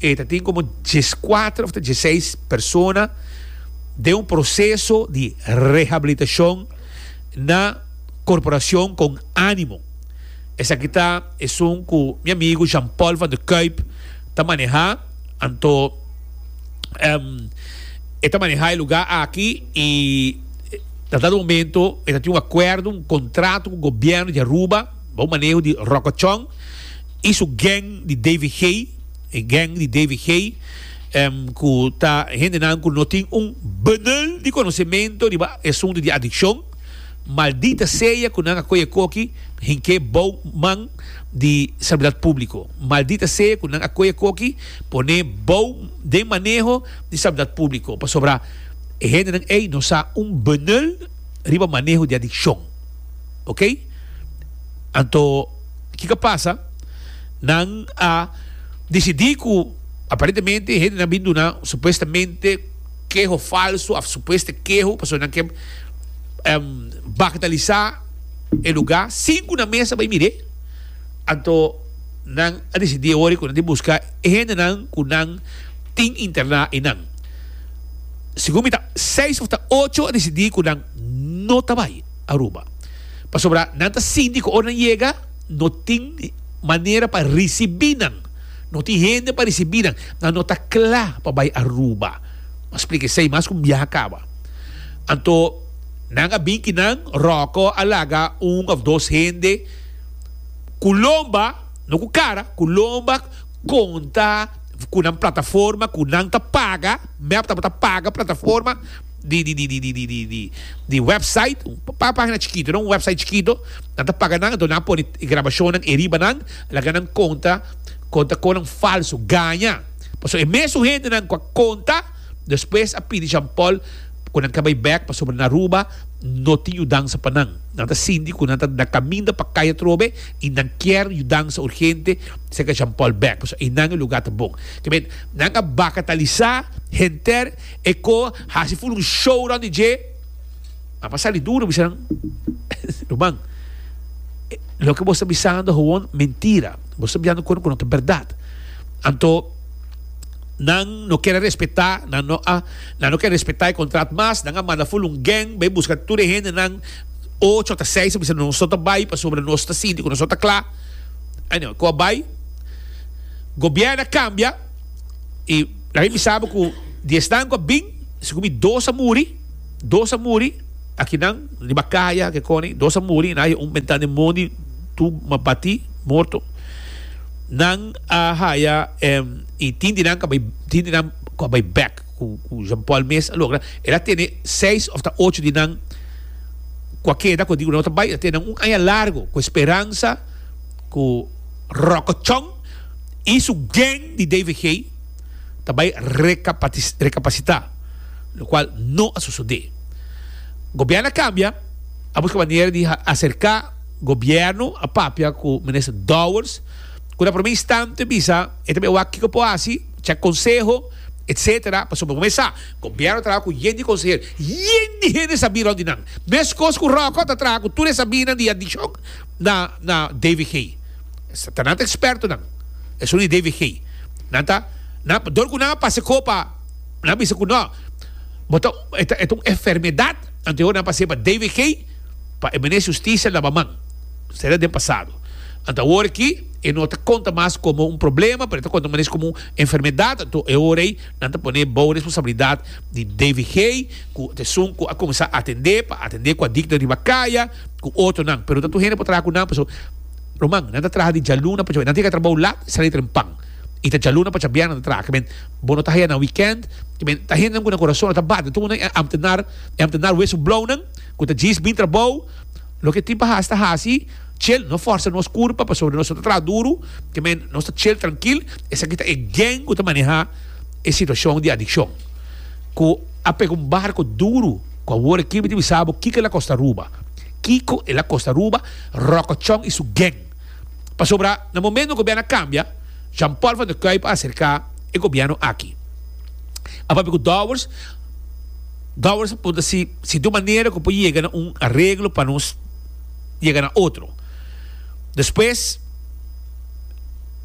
e ta tin como diescuater of ta dieseis persona den un proceso di rehabilitacion na Corporacion con Animo. Esaki ta esun cu mi amigo Jean Paul van der Kuyp ta maneha, anto e ta maneha e lugar aki y. Na dado momento e ta tin un acuerdo, un contrato cu gobierno di Aruba bou maneho di Rokochon y su gang di Davey Gey, e gang di Davey Gey cu ta hendenan cu no tin un benul di conocemento riba e asunto di adiccion. Maldita sea cu nan a coge coki hink'e bou man di Seguridad Publico. Maldita sea cu nan a coge coki pone bou den maneho di Seguridad Publico pasobra. E hendenan ei no sa un benul riba maneho di adikshon. Ok. Anto kiko a pasa? Nan a disidí ku aparentemente e hendenan bin duna supuestamente keho falsu òf supuesto keho pasobra nan ke bagatalisá e lugá sin ku nan mes a bai mir'é. Anto nan a disidí awor ku nan tin buska e hendenan ku nan tin interná einan. Segun mi ta seis of ta ocho a decidí cu nan no ta bay Aruba. Pasobra nan ta sinti cu ora nan yega no tin manera pa ricibi nan. No tin hende pa ricibi nan. Nan no ta cla pa bay Aruba. Mas plica esey mas cu un biaha caba. Anto nan a bin kinan Rocco a laga un of dos hende cu lomba, no cu cara, cu lomba conta. ku nan plataforma ku nan ta paga, mep tabata paga plataforma di di di di di di di website, un pagina chikito no, un website chikito, nan ta paga nan, enton nan a pone e grabashonnan e riba nan, laga nan konta konta konan falsu, gaña, pasobra e mesun hendenan ku a konta. Despues a pidi Jean Paul cu nan ka bay bek pasobra na Aruba no tin yudansa pa nan. Nan ta sinti cu nan ta na caminda pa cay atrobe y nan kier yudansa urgente seca Jean Paul bek pasobra eynan e lugar ta bon. Kiben, nan a bacatalisa henter e co haci full un show rond di dje. Nan pa sali duro bisa nan, Ruman, loke bo ta bisando howon mentira. Bo ta biando cu no ta berdad. Anto. Nan no kier a respetá, nan no a, nan no kier respetá e contrat mas, nan a manda ful un gang bai busca tur e hendenan ocho ta seis a bisa nos no ta bai pasobra nos ta sinti cu nos no ta cla, anyway cu a bai, gobierno a cambia y laga mi sabi cu di esnan cu a bin si cu mi dos a muri, dos a muri, aki nan riba caya ki coni, dos a muri y nan haya un mentan den mondi tur ma bati morto, nan a haya. y tin di nan cu a bay bek cu Jean Paul mes a logra el a tene seis of ta ocho di nan cu a keda cu a dico no ta bay el a tene nan un aña largo cu Esperanza cu Rokochon y su gang di DVG ta bay recapacita lo cual no a sucede gobierno a cambia a busca manera di acerca gobierno a papia cu minister Dowers. Cu ta prome instante bisa e ta bewa kico por haci, check conseho, etc. Pasobra momen sa, Gobierno traha cu yen di consehero, yen di hende sabi rond di nan. Mescos cu Rocco ta traha cu tur e sabinan di adicion na na DVG. Esaki ta nan ta expertonan, esun di DVG. Nan ta, nan, dor cu nan a pasa copa, nan a bisa cu no, bo ta, e ta un enfermedad, anto e hopi nan a pasa pa DVG. pa e mene husticia laba man, sera den pasado. Anto awor aki e no ta conta mas como un problema pero e ta conta mas como un enfermedad, anto e ora ey nan ta pone bao responsabilidad di DVG cu esun cu a comenzá atende pa atende cu a dicto riba caya cu otronan pero no ta tur hende por traha cu nan pasobra ruman nan ta traha di djaluna pasobra nan tin ke trabao lat y sali trempan y ta djaluna pacha bia nan ta traha kimen bo no ta haya nan weekend kimen ta hendenan cu nan corazon lo ta bati tur nan e ambtenar e ambtenar wesu blauw nan. Cu ta djis bin trabou, loke tin pa haci ta haci, tjel, no forsa nos curpa pasobra nos no ta traha duru, te men nos ta tjel trankil, esaki ta e gen cu ta maneha e situacion di adiccion, cu a pega un barco duru, cu awor aki mi ta bisa bo kico el a costa Aruba, kico el a costa Aruba, Rokochon y su gen, pasobra na momento gobierno a cambia, Jean Paul van der Kuiper a acerca e gobierno aki, a papia cu Dowers, Gawers a punta si si tin un manera ku por yega na un areglo pa nos yega na otro. Despues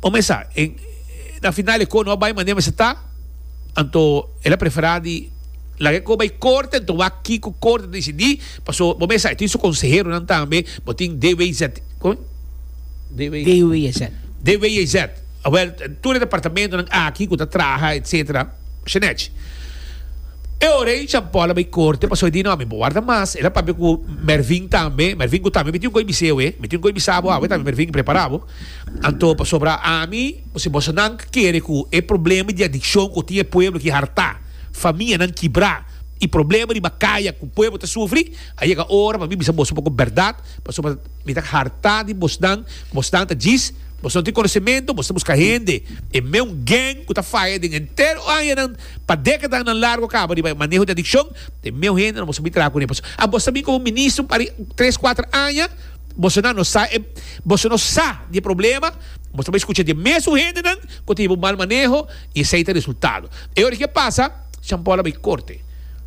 bo mes sa na final e kos no a bai manera mester ta, anto el a prefera di laga e kos bai korte anto wak kiko korte ta disidí, paso bo mes sa e tin su konseheronan tambe, bo tin DWZ, DWZ. Awel, tur e departamentonan aki ku ta traha etsetera, Shenech. E ora ei Jean Paul a bai korte pasobra e di, No, mi por warda mas. El a papia ku Mervin tambe, Mervin ku tambe mi tin un kos bis'é awe, mi tin un kos bisa bo awe tambe Mervin, prepará bo. Anto pasobra ami, bo si boso nan kere ku e problema di adikshon ku tin e pueblo aki hartá, famianan kibrá i problema riba kaya ku pueblo ta sufri, a yega ora pa mi bisa boso un poko bèrdat, pasobra, Mi ta hartá di bosnan, bosnan ta djis, bos no tin konosementu, bos ta buska hende, e meun geng ku ta faya den entero añanan, pa dekadanan largu kaba riba e maneho di adikshon, e meun hende no bo sabí traha kuné. Pasobra a bos ta bin komo ministro pa tres kuater aña, bosonan no sa e, boso no sa di e problema, bos ta bai skucha di e mesun hendenan ku ta hiba un mal maneho i esei ta resultado. E ora ke pasa. Jean Paul a bay corte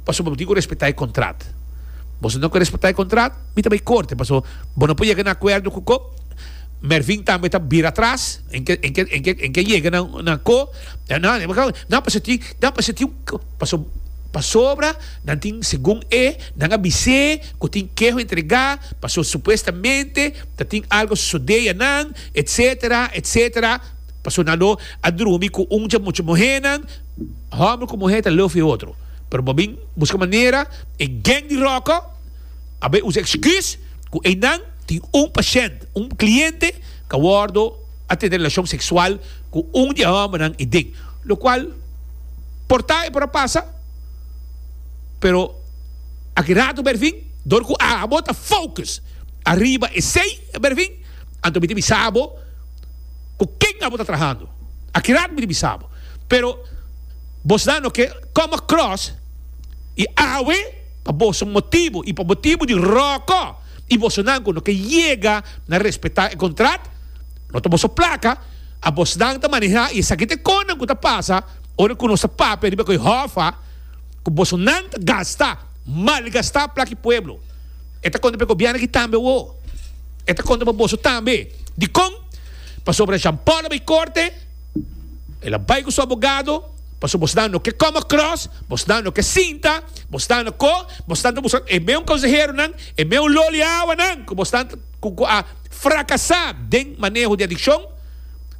pasobra bo tin cu respeta e contrat. Boso no quier respeta e contrat, mi ta bay corte pasobra bo no por yega na acuerdo cu co. Mervin tambe ta bira atras en ke en ke en ke en ke yega na na co nan pasobra tin nan pasobra tin paso pasobra nan tin segun e nan a bise cu tin keho entrega pasobra supuestamente ta tin algo a sucede ya nan etcetera etcetera pasobra nan lo a drumi cu un dje mucho muhernan. Homber ku muhé ta love e otro, pero bo bin buska manera e geng di ròkò a bai usa eksküs ku einan tin un pashènt, un kliente, ku a wòrdu a tene relashon seksual ku un di e hòmbernan eden. Lokual por ta i por a pasa, pero aki ratu berfin dor ku abo ta fokus ariba esei berfin, anto mi ta bisa bo, Ku ken abo ta trahando? Akirat mi di bisa bo, pero bo sa no ke come across i awe pa boso motibu i pa motibu di roko i bosonan ku no ke yega na respetá e kontrat, no ta boso plaka, a bosnan ta manehá i esaki ta e konan ku ta pasa ora ku nos ta papia riba ku e hòffa ku bosonan ta gasta, malgastá plak e pueblo. E ta konta pa e gobièrnu aki tambe awor. E ta konta pa boso tambe. Dikon? Pasobra Jean Paul a bay corte, el a bay cu su abogado, pasobra bo está no ke come across, bo está no ke sinta, bo está no ko, bo está ta busca e meun conseheronan, e meun loliawanan cu bo está cu cu a fracasa den maneho di adiccion,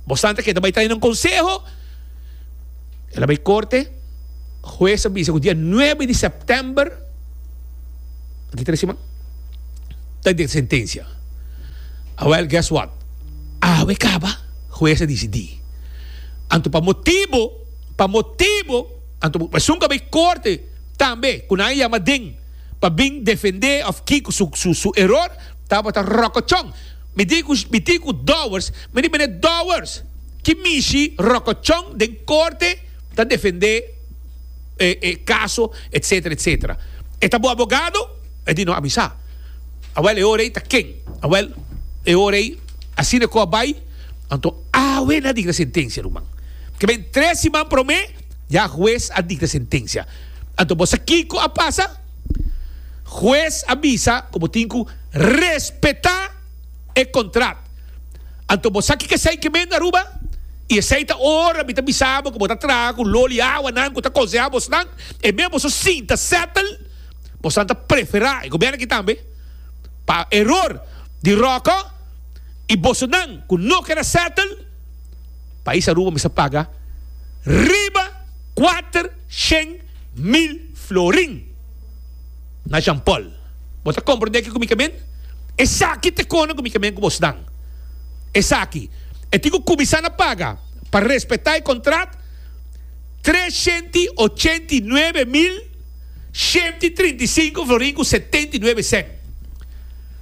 bo está ta keda bay trae nan conseho. El a bai korte, hues a bisa ku dia nuebe di sèptèmber, aki tres siman, ta den sentensia. Awèl, guess what? Awe kaba, hues a disidí. Anto pa motibu, pa motibu, anto bo esun ka bai korte tambe, ku nan a yama den pa bin defendé òf kiko su su su eror, tabata ròkòchon. Mi di ku mi di ku Dowers, mi di, Mene Dowers! Ki mishi rokochon den korte ta defendé e kaso etsetera etsetera. E ta bo abogado? E di no a mi sa. Awèl e ora ei ta ken? Awèl e ora ei asina e kos a bai? Anto awe nan a dikta sentensia ruman. Ke bini tres siman promé ya hues a dikta sentensia. Anto bo sa kiko a pasa? Hues a bisa ku bo tin ku respetá. e contract. Anto bo sa kiko esey ke mende Aruba y esey ta ora mi ta bisa bo ke bo ta traha cu lo liawa nan cu ta conseha bos nan e mes boso sin ta settle bos nan ta prefera e gobierno aki tambe pa eror di Rocco y boso nan cu no keda settle pais Aruba mester paga riba cuater shen mil florin. na Jean Paul. Bo ta komprendé kiko mi ta bin? Esaki ta kona ku mi ta bin ku bos nan. Esaki, e tin ku kuminsá na paga pa respetá e kontrat, tres shenti ochenta i nuebe mil, shenti trinta i sinku florin ku setenta i nuebe sèn.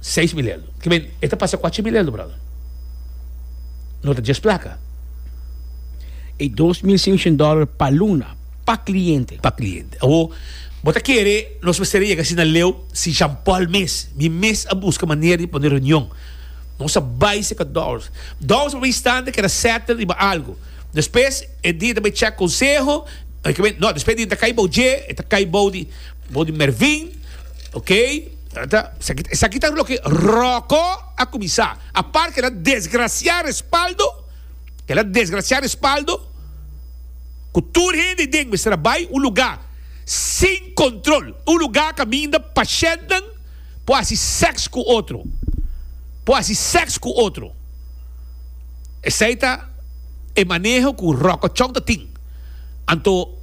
Seis mil elu. Ke men, e ta pasa kuachi mil elu, bròder. No ta djes plaka. E dos mil seinshen dòler pa luna, pa kliente. Pa kliente. Awor, bo ta kere nos mester a yega asina leu? Si Jean Paul mes, mi mes a buska manera di pone reunion. Nos a bai serka Dowers. Dowers e primer instante a keda sètel riba algu. Despues e dia ta bai chèk konseho, ke men, no, despues e dia ta kai bou dje, e ta kai bou di, bou di Mervin, oke. Ta, esaki ta loke Roko a kuminsá. Apart kela desgrasiá respaldo, kela desgrasiá respaldo ku tur hende den mester a bai un lugá sin kontrol, un lugá kaminda pashèntnan por hasi sèks ku otro, por hasi sèks ku otro. Esei ta e maneho ku Roko Chong ta tin. Anto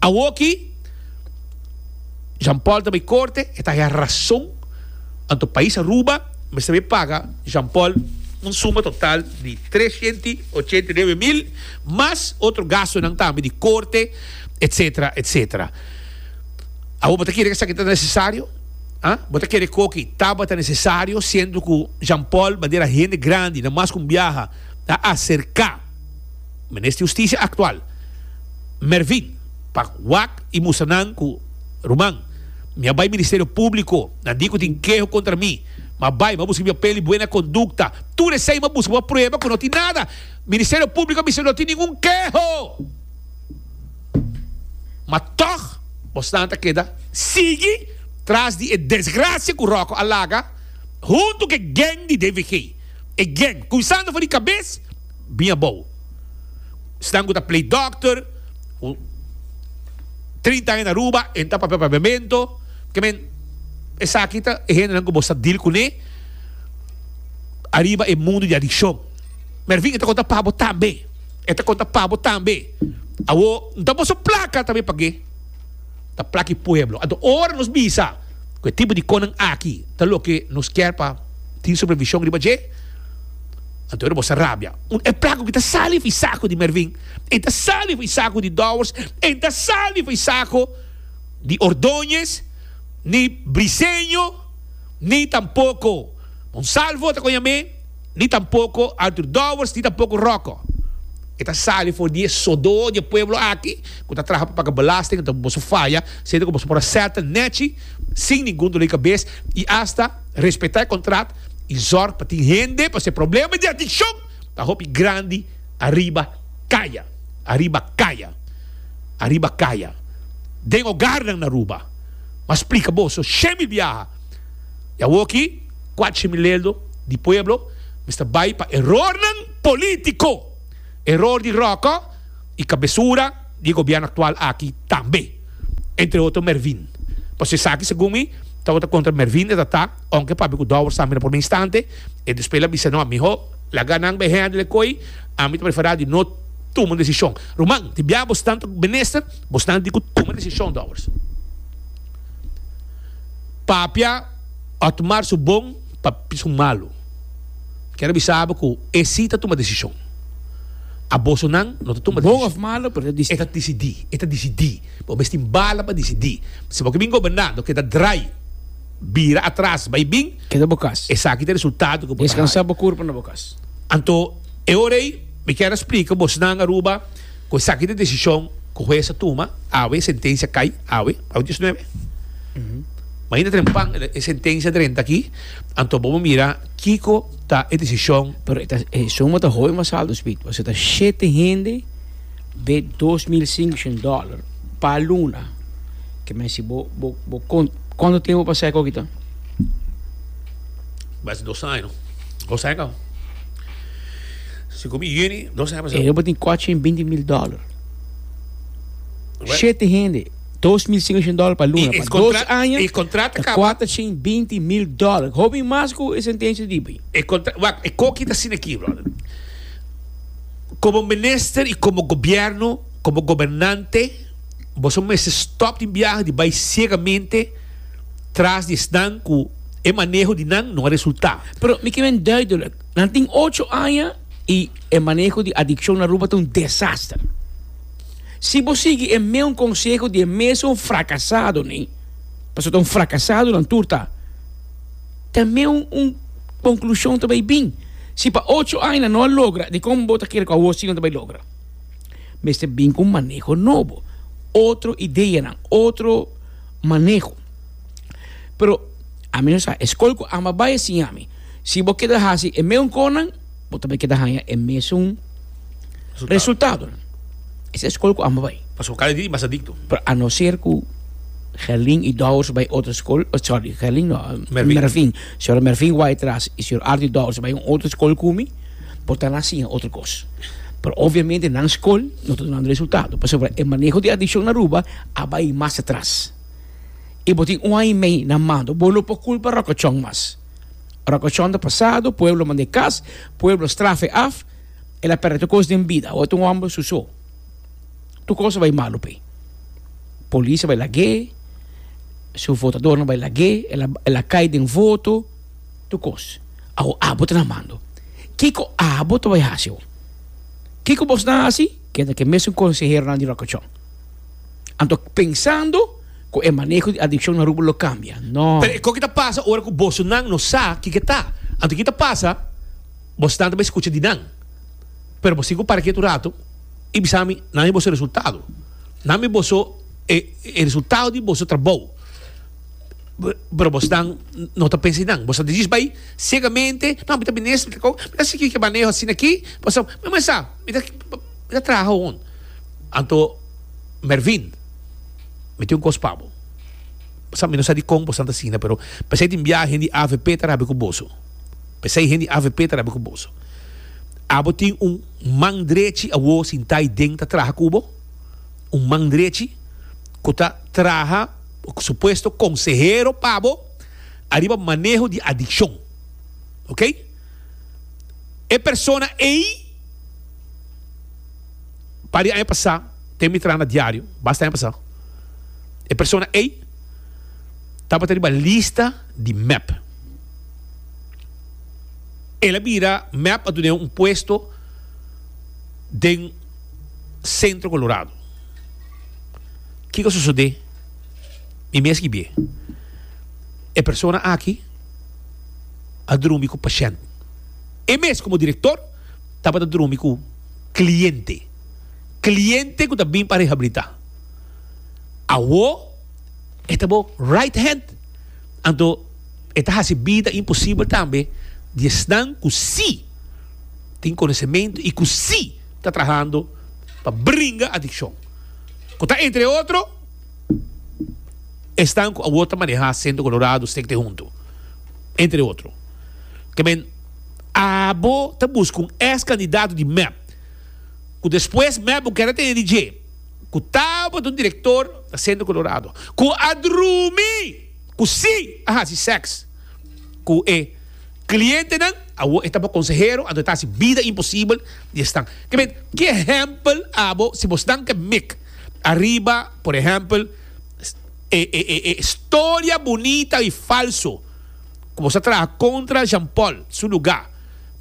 awoki. Jean Paul ta bay corte, e ta haya razón, anto país Aruba mester bay paga Jean Paul un suma total di tresciento y ochenta y nueve mil, mas otro gastonan tambe di corte, etcetera, etcetera. Awo bo ta kere cu esaki ta necesario? Ha? Bo ta kere cu oki tabata necesario siendo cu Jean Paul bandera hende grandi na mas cu un biaha ta acerca Minister Justicia actual, Mervin, pa wak i musa nan ku ruman, Mi a bai Ministerio Públiko, nan di ku tin keho kontra mi, mi a bai, mi a buska mi papel di buena kondukta. Tur esei mi a buska bo prueba ku no tin nada. Ministerio Públiko a bisa no tin ningun keho. Ma tòg bosnan ta keda sigui tras di e desgrasia ku Ròkò a laga huntu ku e geng di DVG. E geng, kumsando for di kabes. Bin abou. Snan ku ta play dòkter, ku trinta aña na Aruba, e ta papia pa bemento. Ke men, esaki ta e hendenan ku bos ta deal kuné ariba e mundu di adikshon. Mervin, e ta konta pa bo tambe. E ta konta pa bo tambe. Awo, N ta boso plaka tambe pag'é. N ta plaka e pueblo. Anto, ora nos bisa ku e tipo di konan aki ta loke nos kier pa tin supervishon riba dje, Anto e robosa rabia. Un e plaku ki ta sali for e saku di Mervin, e ta sali for e saku di Dowers, e ta sali for e saku di Ordoñez, ni Briseño, ni tampoko Monsalvo ta koña me, ni tampoko Artur Dowers, ni tampoko Roko. E ta sali for di e sodó di e pueblo aki ku ta traha pa paga belasting, anto boso faya sende ku boso por a sèt nèchi sin ningun doli kabes i asta respetá e kontrat. y zorg pa tin hende pa se problema di adiccion ta hopi grandi ariba caya, ariba caya, ariba caya den hogarnan na Aruba. M'a splica boso she mil biaha y awoki cuace mil leldo di pueblo mester bay pa erornan politico, eror di Rocco y cabesura di e gobierno actual aki tambe, entre otro Mervin, pasobra esaki segun mi tabata contra Mervin e ta ta. Aunke pape cu Douwers tambe na por mi instante, e despela bisa no, Miho, laga nan bay handle e kooi, ami ta prefera di no tuma un decision. Ruman, di bia boso tanto menester, boso nan di cu tuma e decision, Douwers. Papia Otmar su bon, papi su malo. Kier bisa bo cu e si ta tuma decision. A boso nan no ta tuma decision. Bon of malo, pero e ta dicidi. E ta dicidi, e ta dicidi. Bo mes tin bala pa dicidi. Si bo ke bin goberna, no keda draai. bira atras, bai bin, Keda bo kas. esaki ta e resultado ku bo ta haya. Deskansá bo kurpa na bo kas. Anto, e ora ei mi kier a splika bosnan Aruba ku esaki ta e desishon ku hues a tuma awe, e sentensia kai awe, awe diosnuebe. Mainta trempan e sentensia drenta aki, anto bo por mira kiko ta e desishon. Pero e ta e suma ta hooi mas alto Speed, pasobra ta shete hende De dos mil singshun dollar pa luna ke men si bo bo kont konto tempo pa seka oki ta? Basi dos año bo seka si komi yuni dos año pa seka. E bo tin kochi en binti mil dollar shete hende dos mil singshun dollar pa luna pa dos año e kontrata kaba ta kuata chin binti mil dollar hopi mas ku e sentensia di bo e kontra wak e koki ta asina aki brother. Komo minister i komo gobièrnu, komo gobernante, boso no mester stòp tin biaha di bai siegamente tras di esnan ku e maneho di nan no a resultá. Pero mi ke ben duidelik, nan tin ocho aña i e maneho di adikshon na Aruba ta un desaster. Si bo sigui e mesun konseho di e mesun frakasadonan, pasobra ta un frakasado nan tur ta. Tambe un conclusion ta bay bin, si pa ocho aña no a logra, dikon bo ta kere cu awor si lo ta bay logra? Mester bin cu un maneho nobo, otro ideanan, otro maneho. Pero ami no sa, e scol cu ama bay a siña mi, si bo keda haci e meun conan, Bo ta bai keda haña e mesun resultado. Es e skol ku amba bai. Pasobra kada dia i mas adikto. Pero a no ser ku Gerlin i Dowers bai otro skol, sorry, Gerlin no, Mervin. Señor Mervin wai atras i señor Ardi Dowers bai un otro skol ku mi, por ta nan siña otro kos. Pero obviamente nan skol no ta dunando resultado pasobra e maneho di adikshon na Aruba a bai mas atras. I bo tin un aña i mei na Mando, bo no por kulpa Rokachon mas. Ora ku chonta pasado, pueblo manda e kas, pueblo strafa e af, el a pèrdè tur kos den bida. Awor ta un hòmber su so. Tur kos a bai malu p'e. Polis a bai lag'é, su votadornan bai lag'é, el a, el a kai den voto, tur kos. Awor abo ta na mando. Kiko abo ta bai hasi awor? Kiko bos na hasi? Keda ku e mesun konseheronan di Rokochon. Anto pensando ku e maneho di adikshon na Aruba lo kambia? No. Pero e koki ta pasa ora ku bosonan no sa ki ke ta. Anto ki ta pasa? Bosonan ta bai skucha di nan, pero bo tin ku para kiet un ratu i bisa mi, nan i boso resultado. Nan i boso e resultado di boso trabou. Pero bosonan no ta pensa di nan. Boso ta disis bai segamente, no, mi ta bini nes, mi ta ko, mi ta sigui ki maneho asina aki, mi ta traha hon. Anto, Mervin, mi tin un kos pa bo. Bo sa, mi no sa di kon bo san ta asina, pero p'esei tin biaha hende avp ta rabia ku boso. P'esei hende avp ta rabia ku boso. Abo tin un man drechi awor sintá ei den ta traha ku bo, un man drechi ku ta traha o ku supuesto konsehero pa bo ariba maneho di adikshon. Oke? E persona ei. Par di aña pasá, te mi traha na diario, basta aña pasá, e persona ei tabata riba lista di mep. El a bira mep a dun'é un puesto den Centro Colorado. Kiko a sosodé? Mi mes ki bi'é. E persona aki a drumi ku pashènt. E mes komo direktor. tabata drumi ku kliente. Kliente ku ta bin pa rehabilitá. Awó e ta bo right hand. Anto e ta hasi bida imposibel tambe di esnan ku sí tin konosementu i ku sí ta trahando pa bringa adikshon. Ku ta entre otro esnan ku awor ta manehá Sentro Kolorado Stekte Huntu. Entre otro. Ke men. Abo ta buska un ex candidato di mep, cu despues mep bo keda tene di dje, cu tabata un director na Centro Colorado, cu a drumi cu si a haci sex cu e clientenan, awor e ta bo consehero, anto e ta haci bida imposibel di esnan. Ke men, ki ehempel abo si bo snan ke mik ariba, por ehempel, e historia bunita y falso. Ku boso a traha kontra Jean Paul su lugá.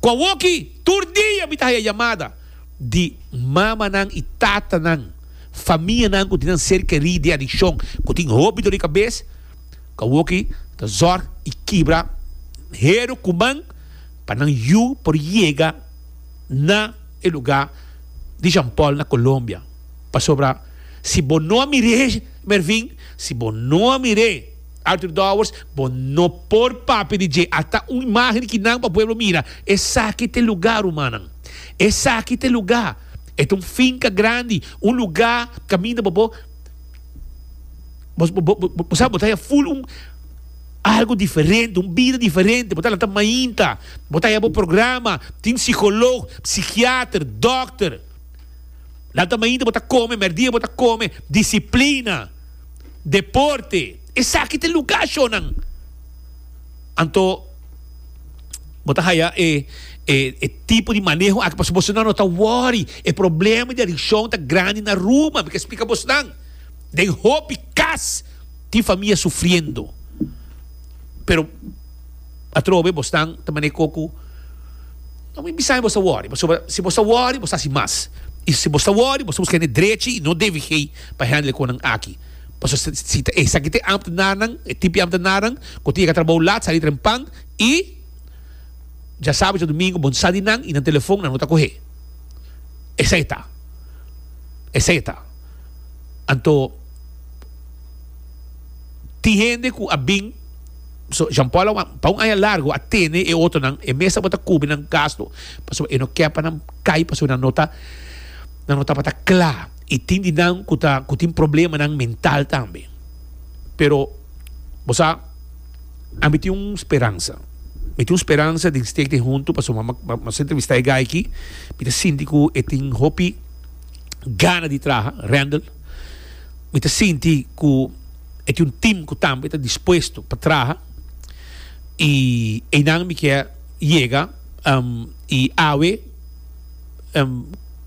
Ku awoki tur dia mi ta haya yamada di mamanan i tatanan, famianan ku tin nan ser kerí den adikshon ku tin hopi dor di kabes, ku awoki ta zòrg i kibra heru kuman pa nan yu por yega na e lugá di Jean Paul na Colombia. Pasobra si bo no a mir'é, Mervin, si bo no a mir'é. Arthur Dowers, Bo no por papia di dje. A ta un imágen ki nan pa pueblo mira. Esaki ta e lugá, rumannan. Esaki ta e lugá. E ta un finka grandi, un lugá kaminda bo bo bo bo sabi bo ta haya ful un algu diferente, un bida diferente. Bo ta lanta mainta, bo ta haya bo programa. Tin sikolog, sikiater, dòkter. Lanta mainta bo ta kome, mèrdia bo ta kome. Disiplina. deporte, esaki ta lugar shonnan. Anto bo ta haya e e tipo di maneho aki pasobra bosnan no ta worry. E problema di adiccion ta grandi na Aruba, mi ta explica bosnan. Den hopi cas tin famia sufriendo. Pero atrobe bosnan ta manera koe ku no mi bisa mi bo sa worry pasobra si bo sa worry bo sa haci mas. I si bo sa worry bo sa busca hende drechi i no debe hei. pa hende e konan aki. Paso si ta esaki ta e ambtenarnan, e tipi ambtenarnan ku tin e ka trabou lat, sali trempan i dja sabi dja dumingu bo sa di nan i nan telefon nan no ta kohe. Esei ta. Esei ta. Anto tin hende ku a bin, so Jean Paul a pa un aña largu a tene e otonan, e mes tabata ta kubri nan gastu paso e no ke pa nan kai paso nan no ta nan no tabata kla. I tin di nan ku ta ku tin problemanan mental tambe. Pero, bo sa, ami tin un speransa. Mi tin un speransa den Steek den Huntu, pasobra mi a mas a entrevistá e guy aki, mi ta sinti ku e tin hopi gana di traha, Randall. Mi ta sinti ku e tin un tim ku tambe ta dispuesto pa traha. I einan mi ke yega, i awe.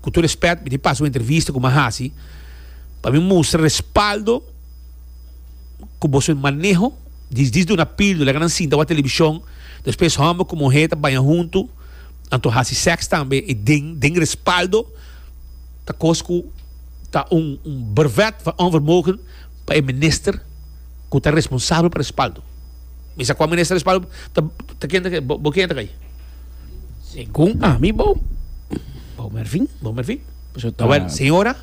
ku tur respèt mi tin pasa un entrevista ku mi a hasi pa mi mustra respaldo ku boso e maneho di disdi una pildo laga nan sinta wak televishon despues hòmber ku muhé ta baña huntu anto hasi sèks tambe i den den respaldo ta kos ku ta un un berwet van onvermogen pa e minister. ku ta responsabel pa respaldo. Mi sa kon mi nester respaldo ta ta ken ta ke bo ken ta kai. Segun ami bo bo merfin bo merfin. Eso ta Wel, señora,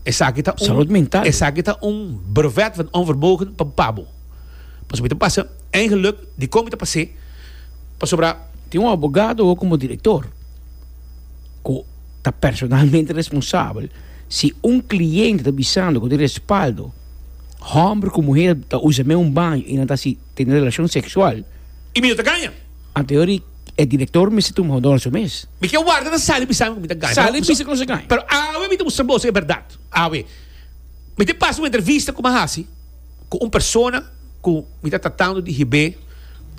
esaki ta un Salud mental. esaki ta un brevet van onvermogen pa pa bo. Pasobra mi ta pasa en geluk di kon mi ta pasé pasobra Tin un abogado o komo direktor ku ta personalmente responsabel si un kliente ta bisando ku tin respaldo. homber ku muher ta usa meun baño i nan ta hasi tene relashon seksual. I mi no ta gaña. Anterior di e direktor mester tuma hondor su mes. Mi ke warda na sali bisami ku mi ta gaña. Sali bisa ku no sa gaña. Pero awe mi ta mustra boso e bèrdat. Awe mi tin pas un entrevista ku mi a hasi ku un persona ku mi ta tratando di hib'é.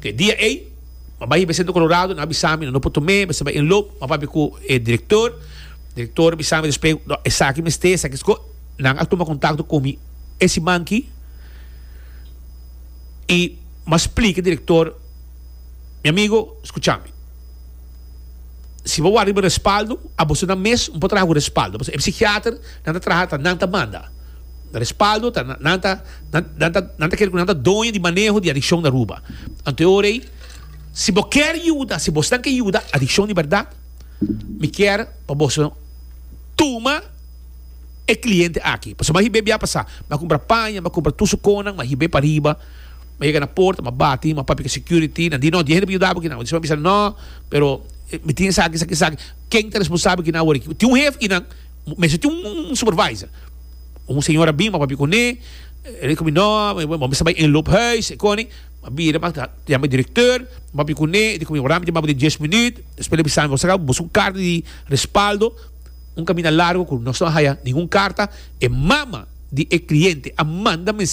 E dia ei mi a bai hib'é sentro kolorado, nan a bisami nan no por tom'é, mester bai enlop. Mi a papia ku e direktor, direktor a bisami despues, no, esaki mester, esaki. Nan a tuma kontakto ku mi e siman ki i m'a splika direktor, Mi amigo, skucha mi. Si bo wak riba respaldo, a bosonan mes un pa traha ku respaldo, pasobra e psikiater nan ta traha ta nan ta manda. Respaldo ta nan ta nan ta nan ta kere ku nan ta doño di maneho di adikshon na Aruba. Anto e ora ei, si bo kèr yuda, si bosnan ke yuda adikshon di bèrdat, mi kèr pa boso tuma. e cliente aki pasobra m'a hib'é bia pasá m'a cumpra paña m'a cumpra tur su conan m'a hib'é pa riba m'a yega na porta m'a bati m'a papia cu e security nan di no dies hende por yuda bo kinan bo dispoi m'a bisa no pero mi tin esaki esaki esaki ken ta responsabel kinan awor aki tin un hef kinan mester tin un supervisor un señor a bin m'a papia cuné e rico mi no bo mester bai inloop huis econi m'a bira m'a yama e director m'a papia cuné e rico mi word mi tin baba den dies minüt espues el a bisa mi bo sa caba bo busca un carta di respaldo Un kaminda largo ku nos no a haya ningun karta, e mama di e kliente a manda mensaj.